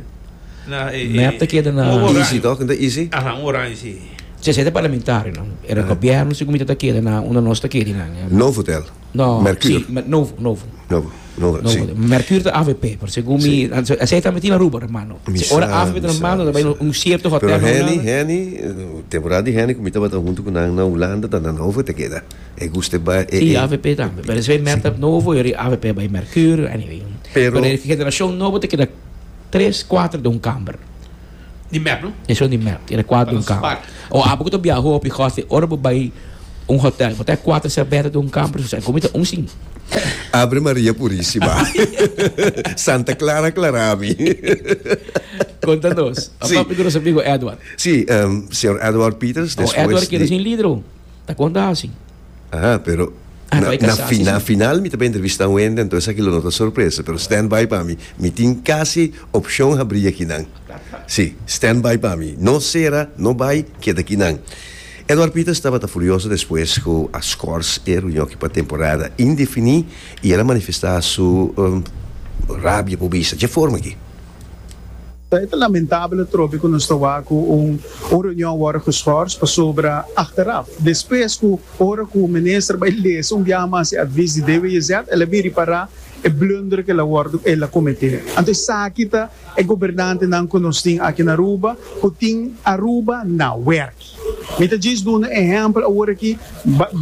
Na e e. Mep ta keda na. Easy tok? Nan ta easy? Aha, un oranj si. Sey sey ta parlamentario nan. Era gobierno si cu mi ta ta keda na unda nos ta kedi nan. Novo hotel? No. Mercure? Si, mer, novo, novo. Novo, novo, si. Novo. Mercure ta avp, pero segun mi, si. Esey tambe tin Aruba na mano. Mi sa, mi sa, mi sa. Si ora avp ta na mano ta bai na un cierto hotel. Pero Henny, Henny, temporada di Henny cu mi tabata hunto cu nan na Hulanda ta na novo e ta keda. E guste bai e e. I avp tambe. Pero esei merta si. novo e ri avp bai mercurio anyway. Pero. Pero e generashon nobo ta keda tres kuater den un kamber. Di mep no? E son di mep ta keda kuater den un kamber. O abo ku ta biaha hopi goste ora bo bai un hotel bo ta e kuater serbèta den un kamber su sa e komo ta un sin. Abre Maria purisima. Santa Clara aklará mi. Konta nos. Si. Papia di nos amigo Edward. Si, señor Edward Peters despues di. O Edward keda sin lider o. Ta con ta hasi. Aha, pero Ah, na, na, fi, na final mi ta pa entrevista Wendy, entonces esaki lo no ta sorpresa, pero stand by pa mi. Mi tin casi opcion habri aki nan. Si, stand by pa mi. No cera, no bay, keda aki nan. Edward Pieters tabata furioso despues cu a schors e reunion aki pa temporada indefini y el a manifesta su, um, rabia, por bisa dje forma aki. Ta eta lamentabel atrobe ku nos ta wak ku un un reunion wòrdu geshors pasobra achteraf, despues ku ora ku minister bai lesa un biaha mas e advis di DWZ el a bin ripará e blunder ku el a wòrdu el a kometé. Anto esaki ta e gobernantenan ku nos tin aki na Aruba ku tin Aruba na wèrk. Mi ta djis duna un ehèmpel awor aki,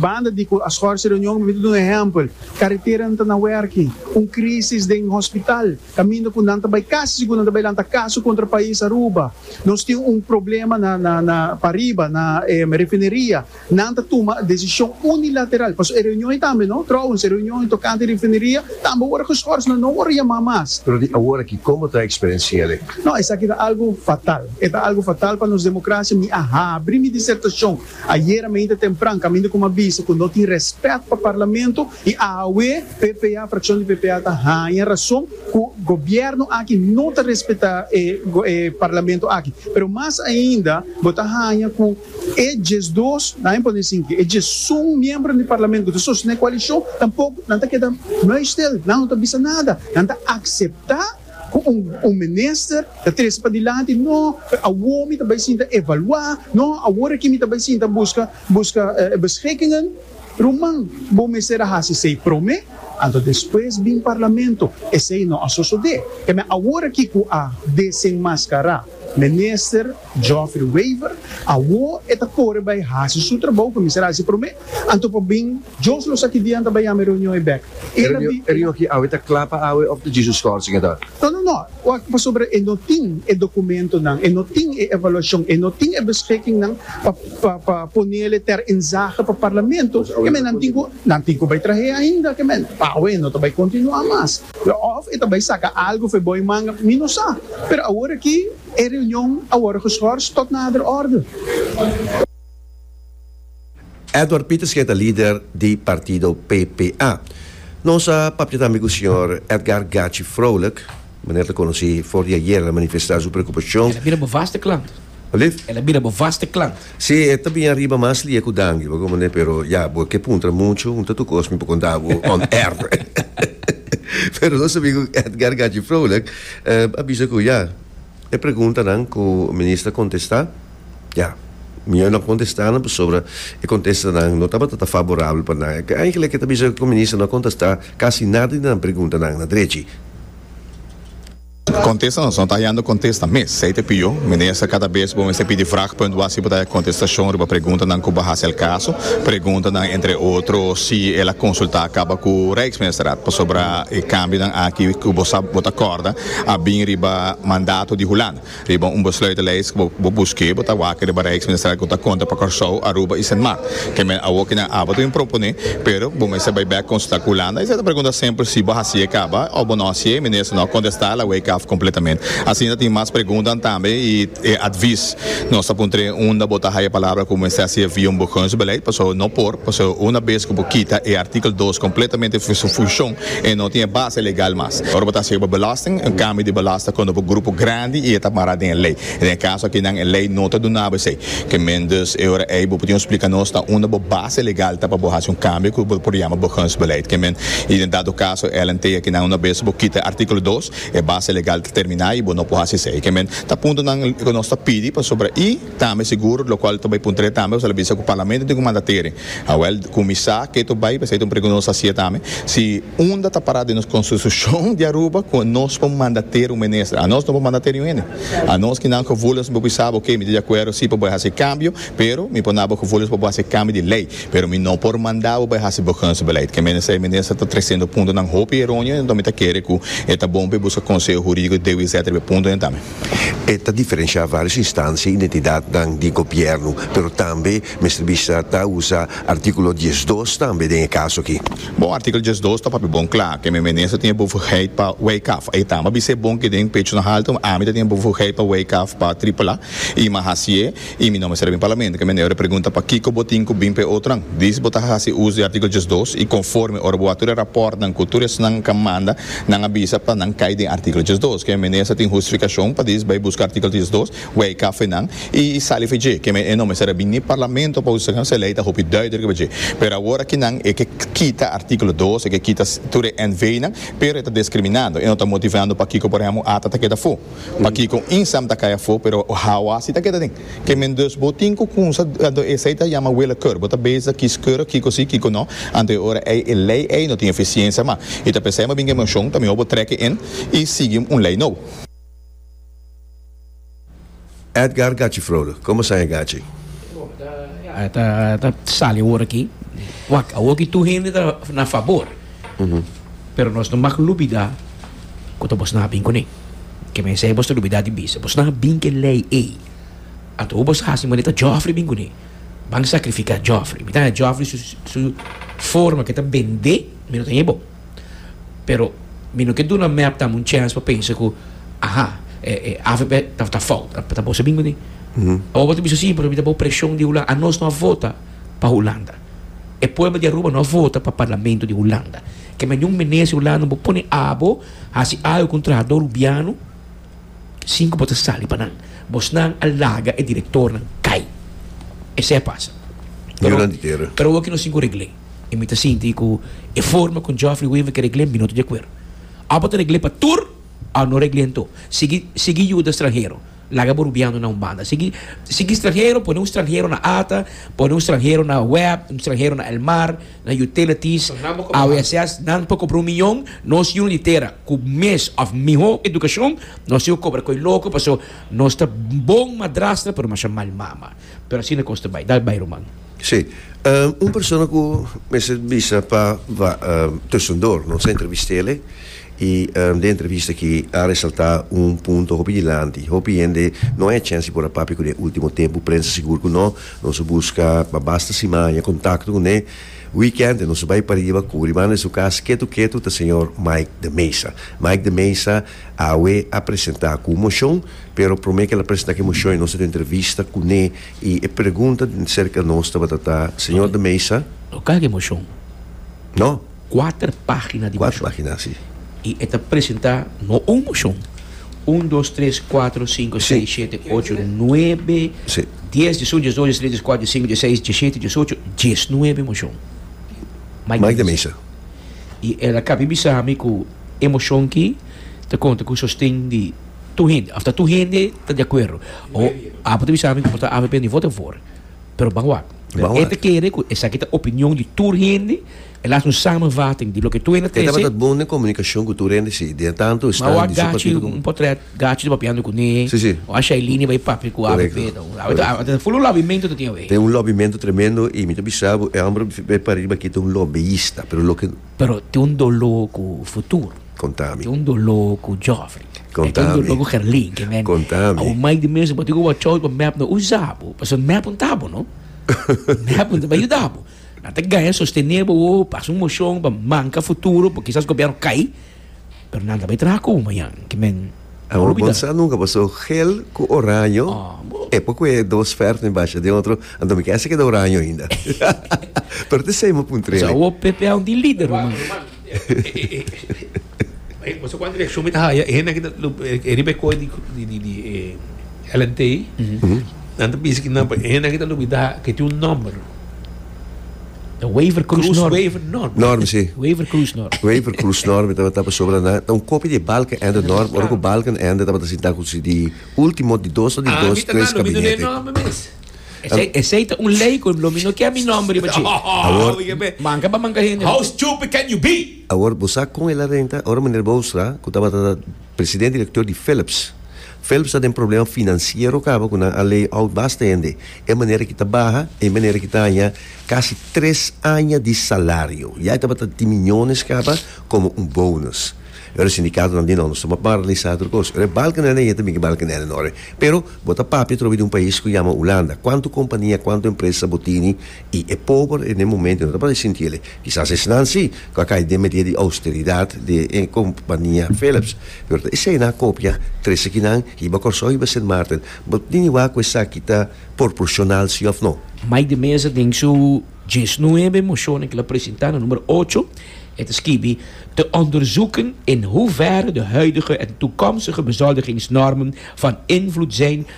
banda di ku a shors e reunion mi ta duna un ehèmpel, kareteranan ta na wèrk, un krísis den hospital, Kaminda ku nan ta bai kasi sigur nan ta bai lanta kaso kontra pais Aruba. Nos tin un problema na pa riba na e refineria. Nan ta tuma desishon unilateral. Paso e reunion ei tambe no, trouwens e reunion ei tokante refineria tambe wòrdu geschors. Nan no wòrdu yamá mas. Pero di awor aki komo ta eksperensia el ei? No, esaki ta algu fatal. E ta algu fatal pa nos demokrasia. Mi a habri mi disertashon ayera meinta tempran kaminda ku mi a bisa ku no tin rèspèt pa parlamento I awe ppa frakshon di ppa ta haña rason ku gobièrnu aki no ta respetá e parlamento aki. Pero mas ainda bo ta haña ku e diesdos, laga mi pone asin ke e diesun miembronan di parlamento ku ta sostené koalishon tampoko nan ta keda muistil, nan no ta bisa nada. Nan ta akseptá ku un un minister ta trese padilanti, no, awor mi ta bai sinta evaluá, no, awor aki mi ta bai sinta buska buska beschikkingen. Ruman, bo mester a hasi esei prome, anto despues bin parlamento. Esei no a sosode. Keme awor aki ku a desenmaskará Minister Geoffrey Wever, awor e ta kore bai hasi su trabou ku e mester a hasi prome, anto pa bin Jos los aki dianter bai yama e reunion ei bek. E reunion aki awe ta kla pa awe of ta dje su skorsing e ta. No, no, no. Wak pasobra e no tin e dokumentonan, e no tin e evaluashon, e no tin e beskikingnan pa ponele ter inzage pa parlamento. Kemen nan tin ku nan tin ku bai trah'é ainda, kemen awe no ta bai kontinuá mas. Òf e ta bai saka algu for bou e manga, mi no sa. Pero awor aki e reunion a wòrdu geschors tòt nader òrdu. Edward Pieters ke ta lider di partido PPA. Nos a papia tambe ku señor Edgar Gachi Froulik, manera ta konosí for di ayer, el a manifestá su preokupashon. El a bira bo vaste klant. Alif? El a bira bo vaste klant. Sí, e ta bini ariba mas lia ku danki, pa komo manera, pero ya, bo ke puntra muchu, un ta tur kos mi por konta bo on air. Pero nos sabí ku Edgar Gachi Froulik a bisa ku ya, e preguntanan ku Minister a kontestá, Ya, mi a nan kontestá nan pasobra e kontestanan no tabata ta faborabel pa nan. E eigenlijk e ta bisa ku minister no a kontestá kasi nada di nan preguntanan na drechi. Kontesta nos no ta hayando kontesta mes. Ei te pio, minister kada bes bo mester pidi vragpunt bo asi bo ta haya kontestashon riba preguntanan ku bahasa el kaso. Preguntanan entre otro si el a konsultá kaba ku Rijksministeraad pasobra e kambionan aki ku bo sa bo ta kòrda a bin riba mandato di Hulanda. Riba un besluitenlijst ku bo busk'é, bo ta wak riba bo rijksminister ku ta konta pa Kòrsou, Aruba i Sint Maart. Kèmen awor ku nan aba ta bin proponé, pero bo mester bai bèk konsultá ku Hulanda. Esei ta pregunta sempel si bo hasié kaba òf bo no hasié. Minister no a kontestá, el a wake af kompletament. Asina ta tin mas preguntanan tambe i e advis nos ta puntr'é unda bo ta haya palabra ku mester hasié via un burgonsbeleid, pasó no por, pasó una bes ku bo kita e artikel dos kompletamente fu su funshon, E no tin e base legal mas. Ora bo ta hasi bo belasting, un kambio di belasta kono bo grupo grandi i e ta mara den e lei. Den e kaso akinan e lei no ta duna bo esei. Ke men dus e ora ei bo por tin splika nos na unda bo base legal ta pa bo hasi un kambio ku bo por yama begunsbeleid. Ke men i den dado kaso LNT akinan una bes bo kita e artíkulo dos, e base legal ta terminá i bo no por hasi esei. Ke men ta puntonan ku nos ta pidi pasobra i. Tambe sigur, lo cual ta bay puntra tambe o sa lo bisa cu Parlamento tin cu manda teren. Awel, cuminsa ke to bay, p'esei ta un pregunta nos ta hacia tambe, si unda ta para den nos Constitucion di Aruba cu nos por manda teren un Minister? Anos no por manda teren un hende. Anos kinan gevoeligos mi por bisa bo, oke, mi ta di acuerdo si pa bo a haci cambio, pero mi por na bo gevoeligos pa bo haci cambio di ley, pero mi no por manda bo bay haci begunstbeleid. Ke menester e Minister ta treciendo puntonan hopi eronio, enton mi ta kere cu e ta bon pa e busca conseho juridico di DWZ riba e puntonan tambe. E ta diferenshá vários instansia i identidatnan di gobièrnu, pero tambe mester bisa ta usa artíkulo dies dos tambe den e kaso akí. Bon, artíkulo dies dos ta papia bon kla ke mi minister tin e bevurdigheid pa wijk af. E tambe a bisa e bon ke den pechonahalto ami ta tin e bevurdigheid pa wijk af pa tripela i ma hasié. I mi no mester a bin Parlamento ke mende ora pregunta pakiko bo tin ku bin pa e otronan. Dis bo ta hasi uso di artíkulo diesdos i konforme ora bo a tur e rapòrtnan ku tur esnan kan manda, nan a bisa pa nan kai den artíkulo diesdos. Ke mende esta tin hustifikashon pa dis bai buska artíkulo diesdos, wei kafenan i sali fi dje. Ke mende e no mester a bin ni Parlamento pa hustifiká se lei ta hopi duidruk riba dje. Pero awor aki nan e ke kita artíkulo dos, e ke kita tur e NVnan, pero e ta diskriminando, e no ta motivando pakiko por ehèmpel ata ta keda afó. Pakiko Insam ta kai afó pero hawa si ta keda den kemen dus bo tin ku kunsa anto esei ta yama wele kùr bo ta bes ta kis kùr kiko si kiko no anto e ora ei e lei ei no tin efisiensia ma i ta p'esei mabien emoshon ta mihó bo trèk e in i sigui un lei nobo. Edgar Gachi Frode, Como sa e Gachi? Edgar, Ta sali awor aki. Wak, awor aki tur hende ta na fabor, pero nos no mag lubida cu ta bos na bin cune. Ke mester e bos ta lubida di bisa, bos na bin ke ley ey. Anto hu bos haci manera ta Geoffrey bin cune, ban sacrifica Geoffrey. Mi ta haya Geoffrey su forma ke ta bende, mi no ta haya bo. Pero mi no ke duna mep dam un chance pa pensa ku aha e e avp ta fout ta boso bin kuni awor bo ta bisa simpel mi ta bo preshon di Hulanda anos no a vota pa Hulanda e pueblo di Aruba no a vota pa parlamento di Hulanda ke men niun minister di Hulanda no bo pone abo hasi ayo ku un trahador Rubiano sin ku bo ta sali pa nan bosnan a laga e direktornan kai esei a pasa pero awor aki no sin ku regle. I mi ta sinti ku e forma ku Geoffrey Weaver ke regl'é, mi no ta di akuerdo. Òf bo ta regl'é pa tur, òf no regl'é anto. Sigui sigui yuda stranhero. Laga bo rubiando na un banda. Sigui sigui stranhero, pone un stranhero na ata, pone un stranhero na web, un stranhero na el mar, na utilities. A veces nan por kompra un miñon, nos yuno di tera ku mes òf mihó edukashon, nos tin ku kobra koe loko paso nos ta bon madrastra pero masha mal mama. Pero asina kos ta bai. Dal bai ruman. Sí. Un persona ku mester bisa pa tusendor nos a entrevist'é i den entrevista aki a resaltá un punto hopi dilanti. Hopi hende no a e chèns di por a papia ku de último tempu, prensa sigur ku no. Nos a buska pa basta simaña kontakto ku ne. Weekend nos a bai pariba ku riba den su kas ketu ketu ta señor Mike de Mesa. Mike de Mesa awe a presentá ku un moshon, pero promé ku el a presentá ku e moshon nos a haña un entrevista ku ne Y e pregunta cerca nos tabata ta, Señor de Mesa. Lo caha di mocion. No. Cuater pagina di mocion. Cuater pagina, si. Y e ta presenta no un mocion. Un, dos, tres, cuatro, cinco, seis, siete, ocho, nuebe, dies, diesun, diesdos, diestres, diescuater, diescink, diesseis, diesiete, diesocho, diesnuebe mocion. Mike de Mesa. Y el a cabi bisa mi cu e mocion ki ta conta cu sosten di. Tur hende, afta tur hende ta di akuerdo, o Apo ta bisa mi ku por ta avp ni vota en for, pero ban wak. Ban wak. E ta kere ku esaki ta opinion di tur hende, e laga un samenvatting di loke tur hende ta E trese. tabata bon den komunikashon ku tur hende, si. Dia tantu esnan di su partido komo. Ma wak Gachi, un potret Gachi ta papiando kuné, Si, si. o a Shailini bai papia ku avp. Korekto, korekto. Full un lobimento ta tin awe. Ten un lobimento tremendo i mi ta bisa bo, e homber bai pariba aki ta un lobista, pero loke. Pero tin un doló ku futuro. Konta mi. Tin un doló ku Joffrey. Konta mi. Tin un doló ku Gerlin. Ke men. Konta mi. Awo mai di mes apo tin ku awo a chòu pa mèp no usa bo. Paso mèp un ta bo no. Mèp un ta pa yuda bo. Nan ta gaya sostené bo. Pasa un moshon pa manka futuro pa kisas gobièrnu kai. Pero nan ta bai traha cu mañan, ki men a olbida. Bo sa nunca bo so gel cu oraño, e poco e dos verd mi basha den otro, anto mi kende keda oraño ainda. Pero te sei mo puntre ele. Awor Pepe aun tin lider ro man. Bai bo sa cuanta reaccion mi ta haya, e hende aki riba e coe di LNT, nan ta bisa ki nan, e hende aki ta olbida cu e tin un nomber. The Waver Cruise, Cruise Norm. Waver Norm. Norm, sí. Waver Cruise Norm. Waver Cruise Norm, mi tabata pa sobra na. Ta un kopia di Balken Ende Norm, ora ku Balken Ende tabata sinta ku si di último di dos o di Ah, dos, mi ta tres na, lo mi no den kabinete. nomber mes. Esei, esei ta un lei ku lo mi no kier mi nomber riba dje. Awor- Oye, be. Manka pa manka hende. How stupid can you be? Awor, bo sa kon el a renta? Ora meneer Boonstra, ku tabata president-direkteur di Philips, Phelps ta den problema financiero caba cu nan a lay out basta hende, e manera ki ta baha, e manera ki ta haña casi tres aña di salario, ya e tabata di miñones caba como un bonus. Pero e sindicatonan di no, nos ta marlisa tur cos. Ora e bal canela na yete miki bal canela no ora. Pero bo ta papia trobe di un pais cu yama Hulanda, cuanto compania, cuanto empresa bo tini, I e pober e den momento no ta parse sinti elei. Kisas esnan si ku a kai den media di austeridat di e kompania Philips, pero ta esei nan a kopia trese kinan hiba Kòrsou hiba Sint Maarten. Bo tini wak ku esaki ta porporshonal si òf no? Mike de Meza den su diesnuebe moshonen ku el a presentá na numero ocho, e ta skibi, te onderzoeken in hoeverre de huidige en toekomstige bezoldigingsnormen van invloed zijn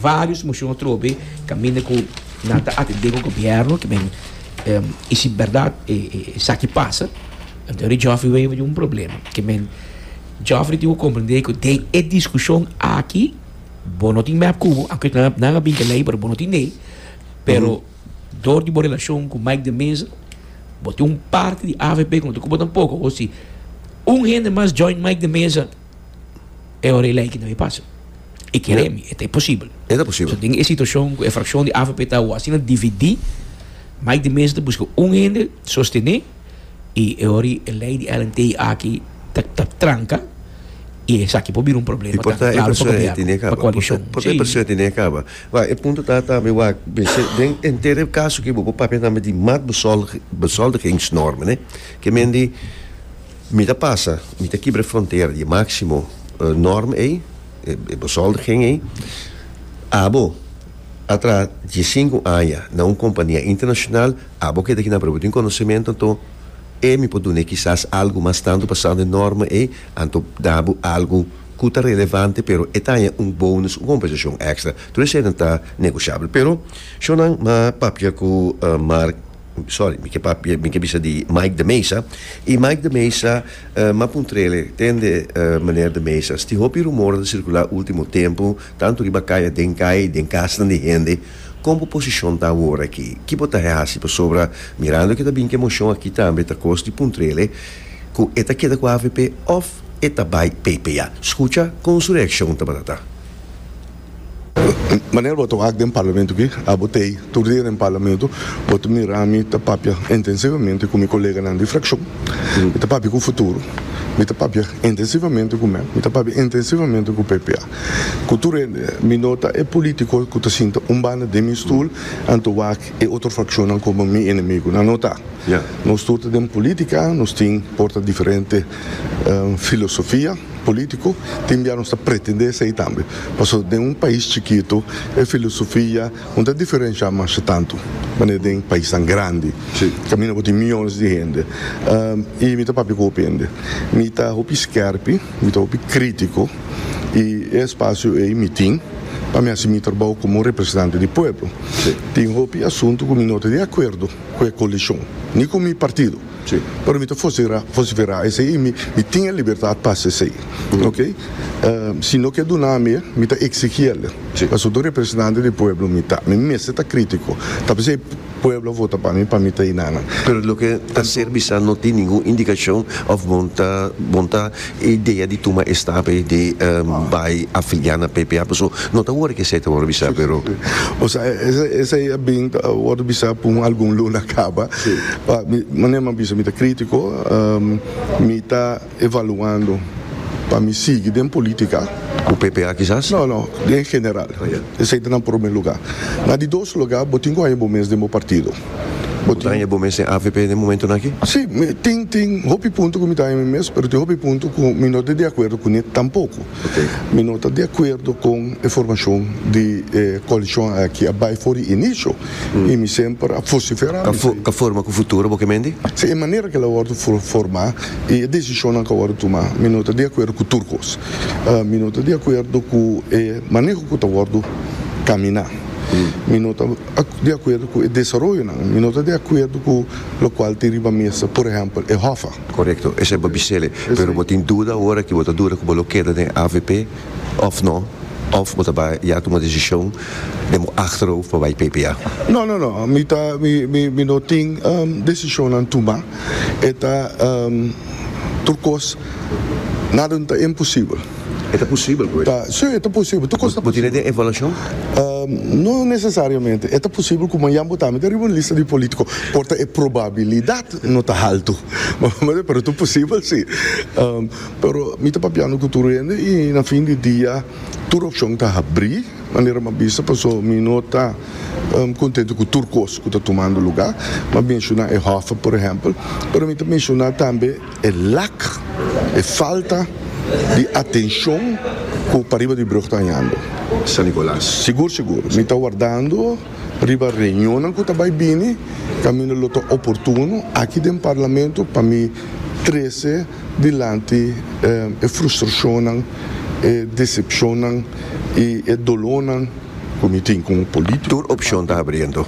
Varios mocion atrobe caminda cu nan ta atende cu gobierno kiben y si berdad esaki pasa enton ri Geoffrey Wever tin un problema kiben Geoffrey tin cu comprende cu den e discusion aki bo no tin mep cu bo aunke nan a binca ley pero bo no tin ley pero dor di bo relacion cu Mike de Meza bo tin un parti di avp cu no ta cuba tampoco hosi un hende mas join Mike de Meza. e ora e lei ki no e pasa. E kere mi, e ta e posibel. E ta posibel. So den e situashon ku e frakshon di avp ta awo asina dividí, Mike de Meza ta buska un hende sostené i e ora e lei di LNT i aki ta ta tranka i esaki por bira un problema Por ta e persona e tene kaba. Por ta por ta e persona e tene kaba. Wak, e punto ta tambe wak bishe den enter e kaso ki bo por papia tambe di maatbezoldigings normen, ne. Ke men di. Mi ta pasa, mi ta kibra e frontera di e máksimo nòrm ei, e bezoldiging ei. Abo, atra diesinku aña na un kompania internashonal, abo keda aki nan propi tin konosementu, anto e mi por dun'é kisas algu mas tantu basando e nòrma ei, anto da bo algu ku ta relevante, pero e ta haña un bonus, un kompensashon èkstra. Tur eseinan ta negoshabel. Pero shònan a papia ku Mark. Sorry, mi ke papia, mi ke bisa di Mike de Mesa. I Mike de Mesa, m'a puntr'ele, tende Meneer de Mesa, sti hopi rumor a ta sirkulá último tempu, tantu riba kai a den kai, den kasnan di hende, kon bo posishon ta awor aki? Ki bo ta hasi? Pasobra, mirando ke ta bin ke moshon aki tambe, ta kos di puntr'ele ku e ta keda ku avp òf e ta bai pp. Ya, skucha, kon su reakshon tabata ta? Manera bo ta wak den parlamento aki, abo ta ei tur dia den parlamento, bo ta mira mi ta papia intensivamente ku mi koleganan di frakshon, mi ta papia ku Futuro, mi ta papia intensivamente ku mep, mi ta papia intensivamente ku PPA, ku tur hende. Mi no ta e polítiko ku ta sinta un banda den mi stul anto wak e otro frakshonnan komo mi enemigunan, no ta. Nos tur ta den polítika, nos tin por ta diferente filosofia. Politico tin bia nos ta pretende esey tambe, pasobra den un pais chikito e filosofia no ta diferencia masha tanto manera den paisnan grandi caminda bo tin miyones di hende. Y mi ta papia cu hopi hende, mi ta hopi skerpi, mi ta hopi critico y e espacio ey mi tin pa mi haci mi trabao como representante di pueblo. Tin hopi asunto cu mi no ta di acuerdo cu e coalicion ni cu mi partido. Sí, pero mi ta fosira, fosiferá esei i mi, mi tin e libertat pa hasi esei. Ok? Si no ke duna mi e, mi ta eksigí el e. Sí. Pasobra ta un representante di pueblo mi ta. Mi mester ta krítiko. Ta p'esei e pueblo a vota pa mi pa mi ta hinana. Pero loke ta ser bisa no tin ningun indikashon òf bon ta, bon ta. E idea di tuma e stape di bai afiliá na PPA pasobra no ta wòrdu ku esei ta wòrdu bisá pero o sa esei a bin ta wòrdu bisá pa un algun luna kaba pa mi manera mi a bisa mi ta krítiko mi ta evaluando pa mi sigui den polítika. Ku PPA kisas? No no den general esei ta na prome lugá na di dos lugá bo tin ku haña bo mes den bo partido. Bo daña bo mes den avp den momentonan aki? Sí, tin tin hopi punto ku mi daña mi mes, pero tin hopi punto ku mi no ta di akuerdo kuné tampoko. Mi no ta di akuerdo kon e formashon di e koalishon aki a bai for di inisio i mi semper a fosiferá. Ka forma ku futuro bo ke mendi? Sí, e manera ku el a wòrdu formá i e desishonnan ku a wòrdu tumá mi no ta di akuerdo ku tur kos. Mi no ta di akuerdo ku e maneho ku ta wòrdu kaminá. Mi no ta. di akuerdo ku e desaroyonan i no ta di akuerdo ku lokual tin riba mesa, por ehèmpel, e hòfa. Korekto, esei bo bisel e. Pero bo tin duda ora aki bo ta duda ku bo lo keda den avp òf no, òf bo ta bai ya tuma desishon den bo achterhoofd pa bai ppa? No, no, no, mi ta, mi, mi, mi no tin desishonnan tuma. E ta tur kos, nada no ta imposibel. E ta posibel pues? Ta, si, e ta posibel, tur kos ta posibel. Bo tene den evaluashon? No nesesariamente. E ta posibel ku mañan bo ta hami ta riba un lista di polítiko, porta e probabilidat no ta haltu. Pero tur posibel si. Pero mi ta papiando ku tur hende i na fin di dia tur opshon ta habrí, manera mi a bisa, paso mi no ta kontentu ku tur kos ku ta tumando lugá. Mi a menshoná e hòf, por ehèmpel, pero mi ta menshoná tambe. E lak, e falta di atenshon ku pariba di brug ta hañando. San Nicolas. Sigur sigur, mi ta wardando riba reunionnan ku ta bai bini, kaminda lo ta oportuno aki den Parlamento pa mi trese dilanti e frustrashonnan, e desepshonnan i e dolónan ku mi tin komo polítiko. Tur opshon ta abriendo.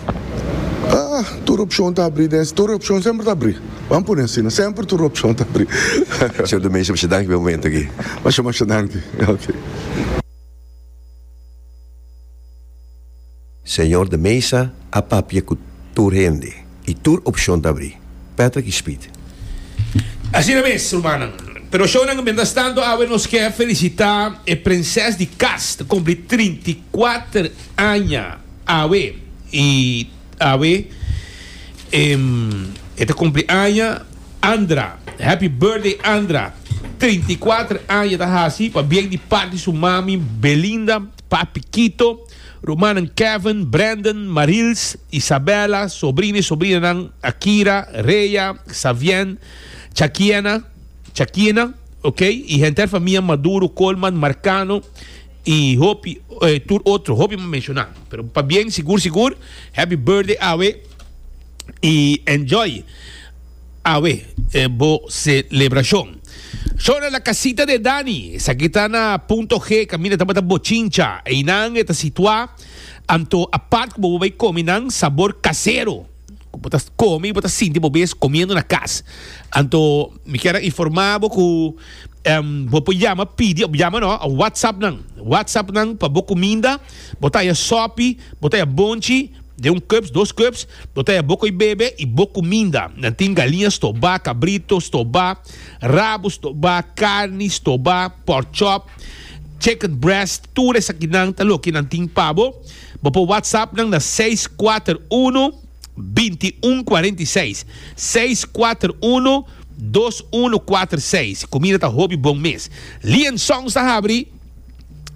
Tur opshon ta abri den, tur opshon semper ta abri. Ban pone asina, semper tur opcion ta abri. Señor Domesio, masha danki pa e momento aki. Masha masha danki. Ok. Señor de Mesa a papia cu tur hende y tur opcion ta abri. Patrick y Speed. Asina mes, rumannan. Pero shownan, mientras tanto awe nos kier felicita e prenses di cas ta cumpli trinta y kuater aña awe y. Awe e ta cumpli aña Andra happy birthday Andra trinta i kuater aña e ta haci pa bien di part di su mami Belinda papi Kito rumannan Kevin Brandon Marils Isabella sobrina y sobrinanan Akira Rhea Xavien Chakiena Chakina okay y henter famia Maduro Colman Marcano Y hopi tur otro, hopi m'a menciona. Pero pa bien sigur sigur, Happy Birthday awe y enjoy awe bo celebracion. Shona La Casita de Dani, esaki ta na Punto G, caminda tabata Bochincha. Einan e ta situa anto apart cu bo por bay comi nan sabor casero. ku bo ta komi i bo ta sinti bo mes komiendo na kas. Anto mi kier a informá bo ku em, bo por yama pidi, of yama no, a WhatsApp nan. WhatsApp nan pa bo kuminda, bo ta haya sopi, bo ta haya bonchi, den un cups, dos cups, bo ta haya bo ko'i bebe i bo kuminda. Nan tin galiña stobá, kabrito stobá, rabo stobá, karni stobá, pork chop, chicken breast, tur esakinan ta loke nan tin pa bo. Bo por WhatsApp nan na seis kuater unu, binti un kuarenta i seis, seis kuater unu, dos unu kuater seis. Kumida ta hopi bon mes. Lee and Sons ta habri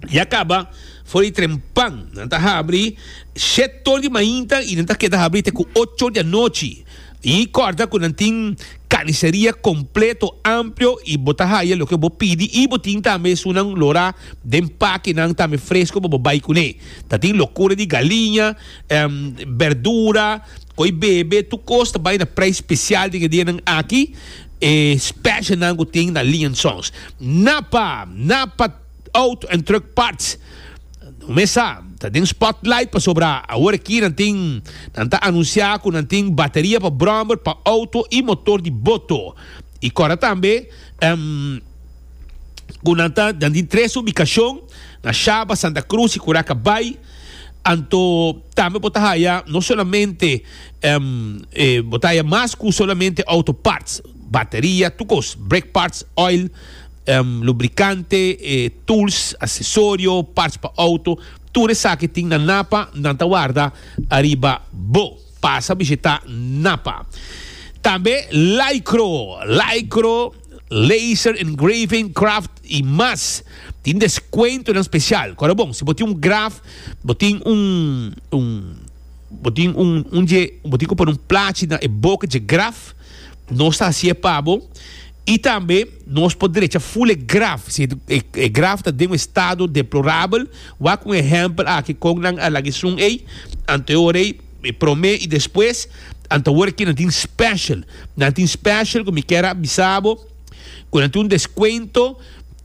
ya kaba for di tren pan. Nan ta habri shet or di mainta i nan ta keda habri te ku ocho di anochi. Y corda cu nan tin carniceria completo, amplio y bo ta haya loke bo pidi y bo tin tambe esunnan lora den pakenan tambe fresco pa bo bay cune. Ta tin locura di galiña, berdura, coy bebe, tur cos ta bay na prijs special den e dianan aki, e specialnan cu tin na Lianson's. Napa! Napa! Auto en truck parts No mesa ta den spotlight pasobra awor aki nan tin nan ta anuncia cu nan tin bateria pa bromber pa auto y motor di boto y cora tambe cu nan ta nan tin tres ubicacion na Shaba, Santa Cruz y Curaca Bay anto tambe bo ta haya no solamente bo ta haya mas cu solamente auto parts bateria tur cos brake parts oil. lubrikante, tuls, asesorio, parts pa outo, tur esaki tin na Napa, nan ta warda ariba bo. Pasa bishitá Napa. Tambe Lycro, Lycro, Laser Engraving, Craft i mas. Tin deskuentonan spesial. Kòrda bon, si bo tin un graf, bo tin un, un, bo tin un, un dje, bo tin ku pone un plachi na e boka dje graf, nos ta hasié pa bo. I tambe nos por drecha ful e graf, si e graf ta den un estado deplorabel, wak un ehèmpel aki kon nan a laga esun ei, anteor ei, e promé i despues, anteor ki nan tin special. Nan tin special ku mi kier a bisa bo ku nan tin un deskuento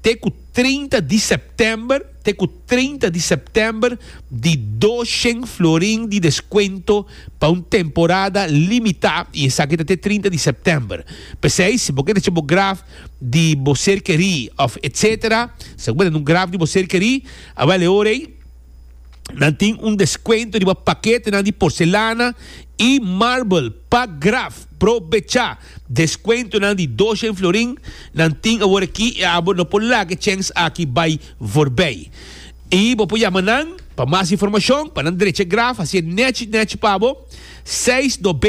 te ku trinta di sèptèmber te ku. 30 di september di doshen florin di deskuento pa un temporada limitá i esaki ta te 30 di september. P'esei si bo ke recha bo graf di bo ser kerí òf etsetera, si bo ke tene un graf di bo ser kerí, awèl e ora ei nan tin un deskuento riba paketenan di porselana i marbel pa graf. Probechá! Deskuentonan di doshen florin nan tin awor aki i abo no por laga e chèns aki bai forbei. I bo por yama nan pa mas informashon pa nan drecha graf hasié nèchi nèchi pa bo seis nobenta i seis, trenta i seis, trenta i seis.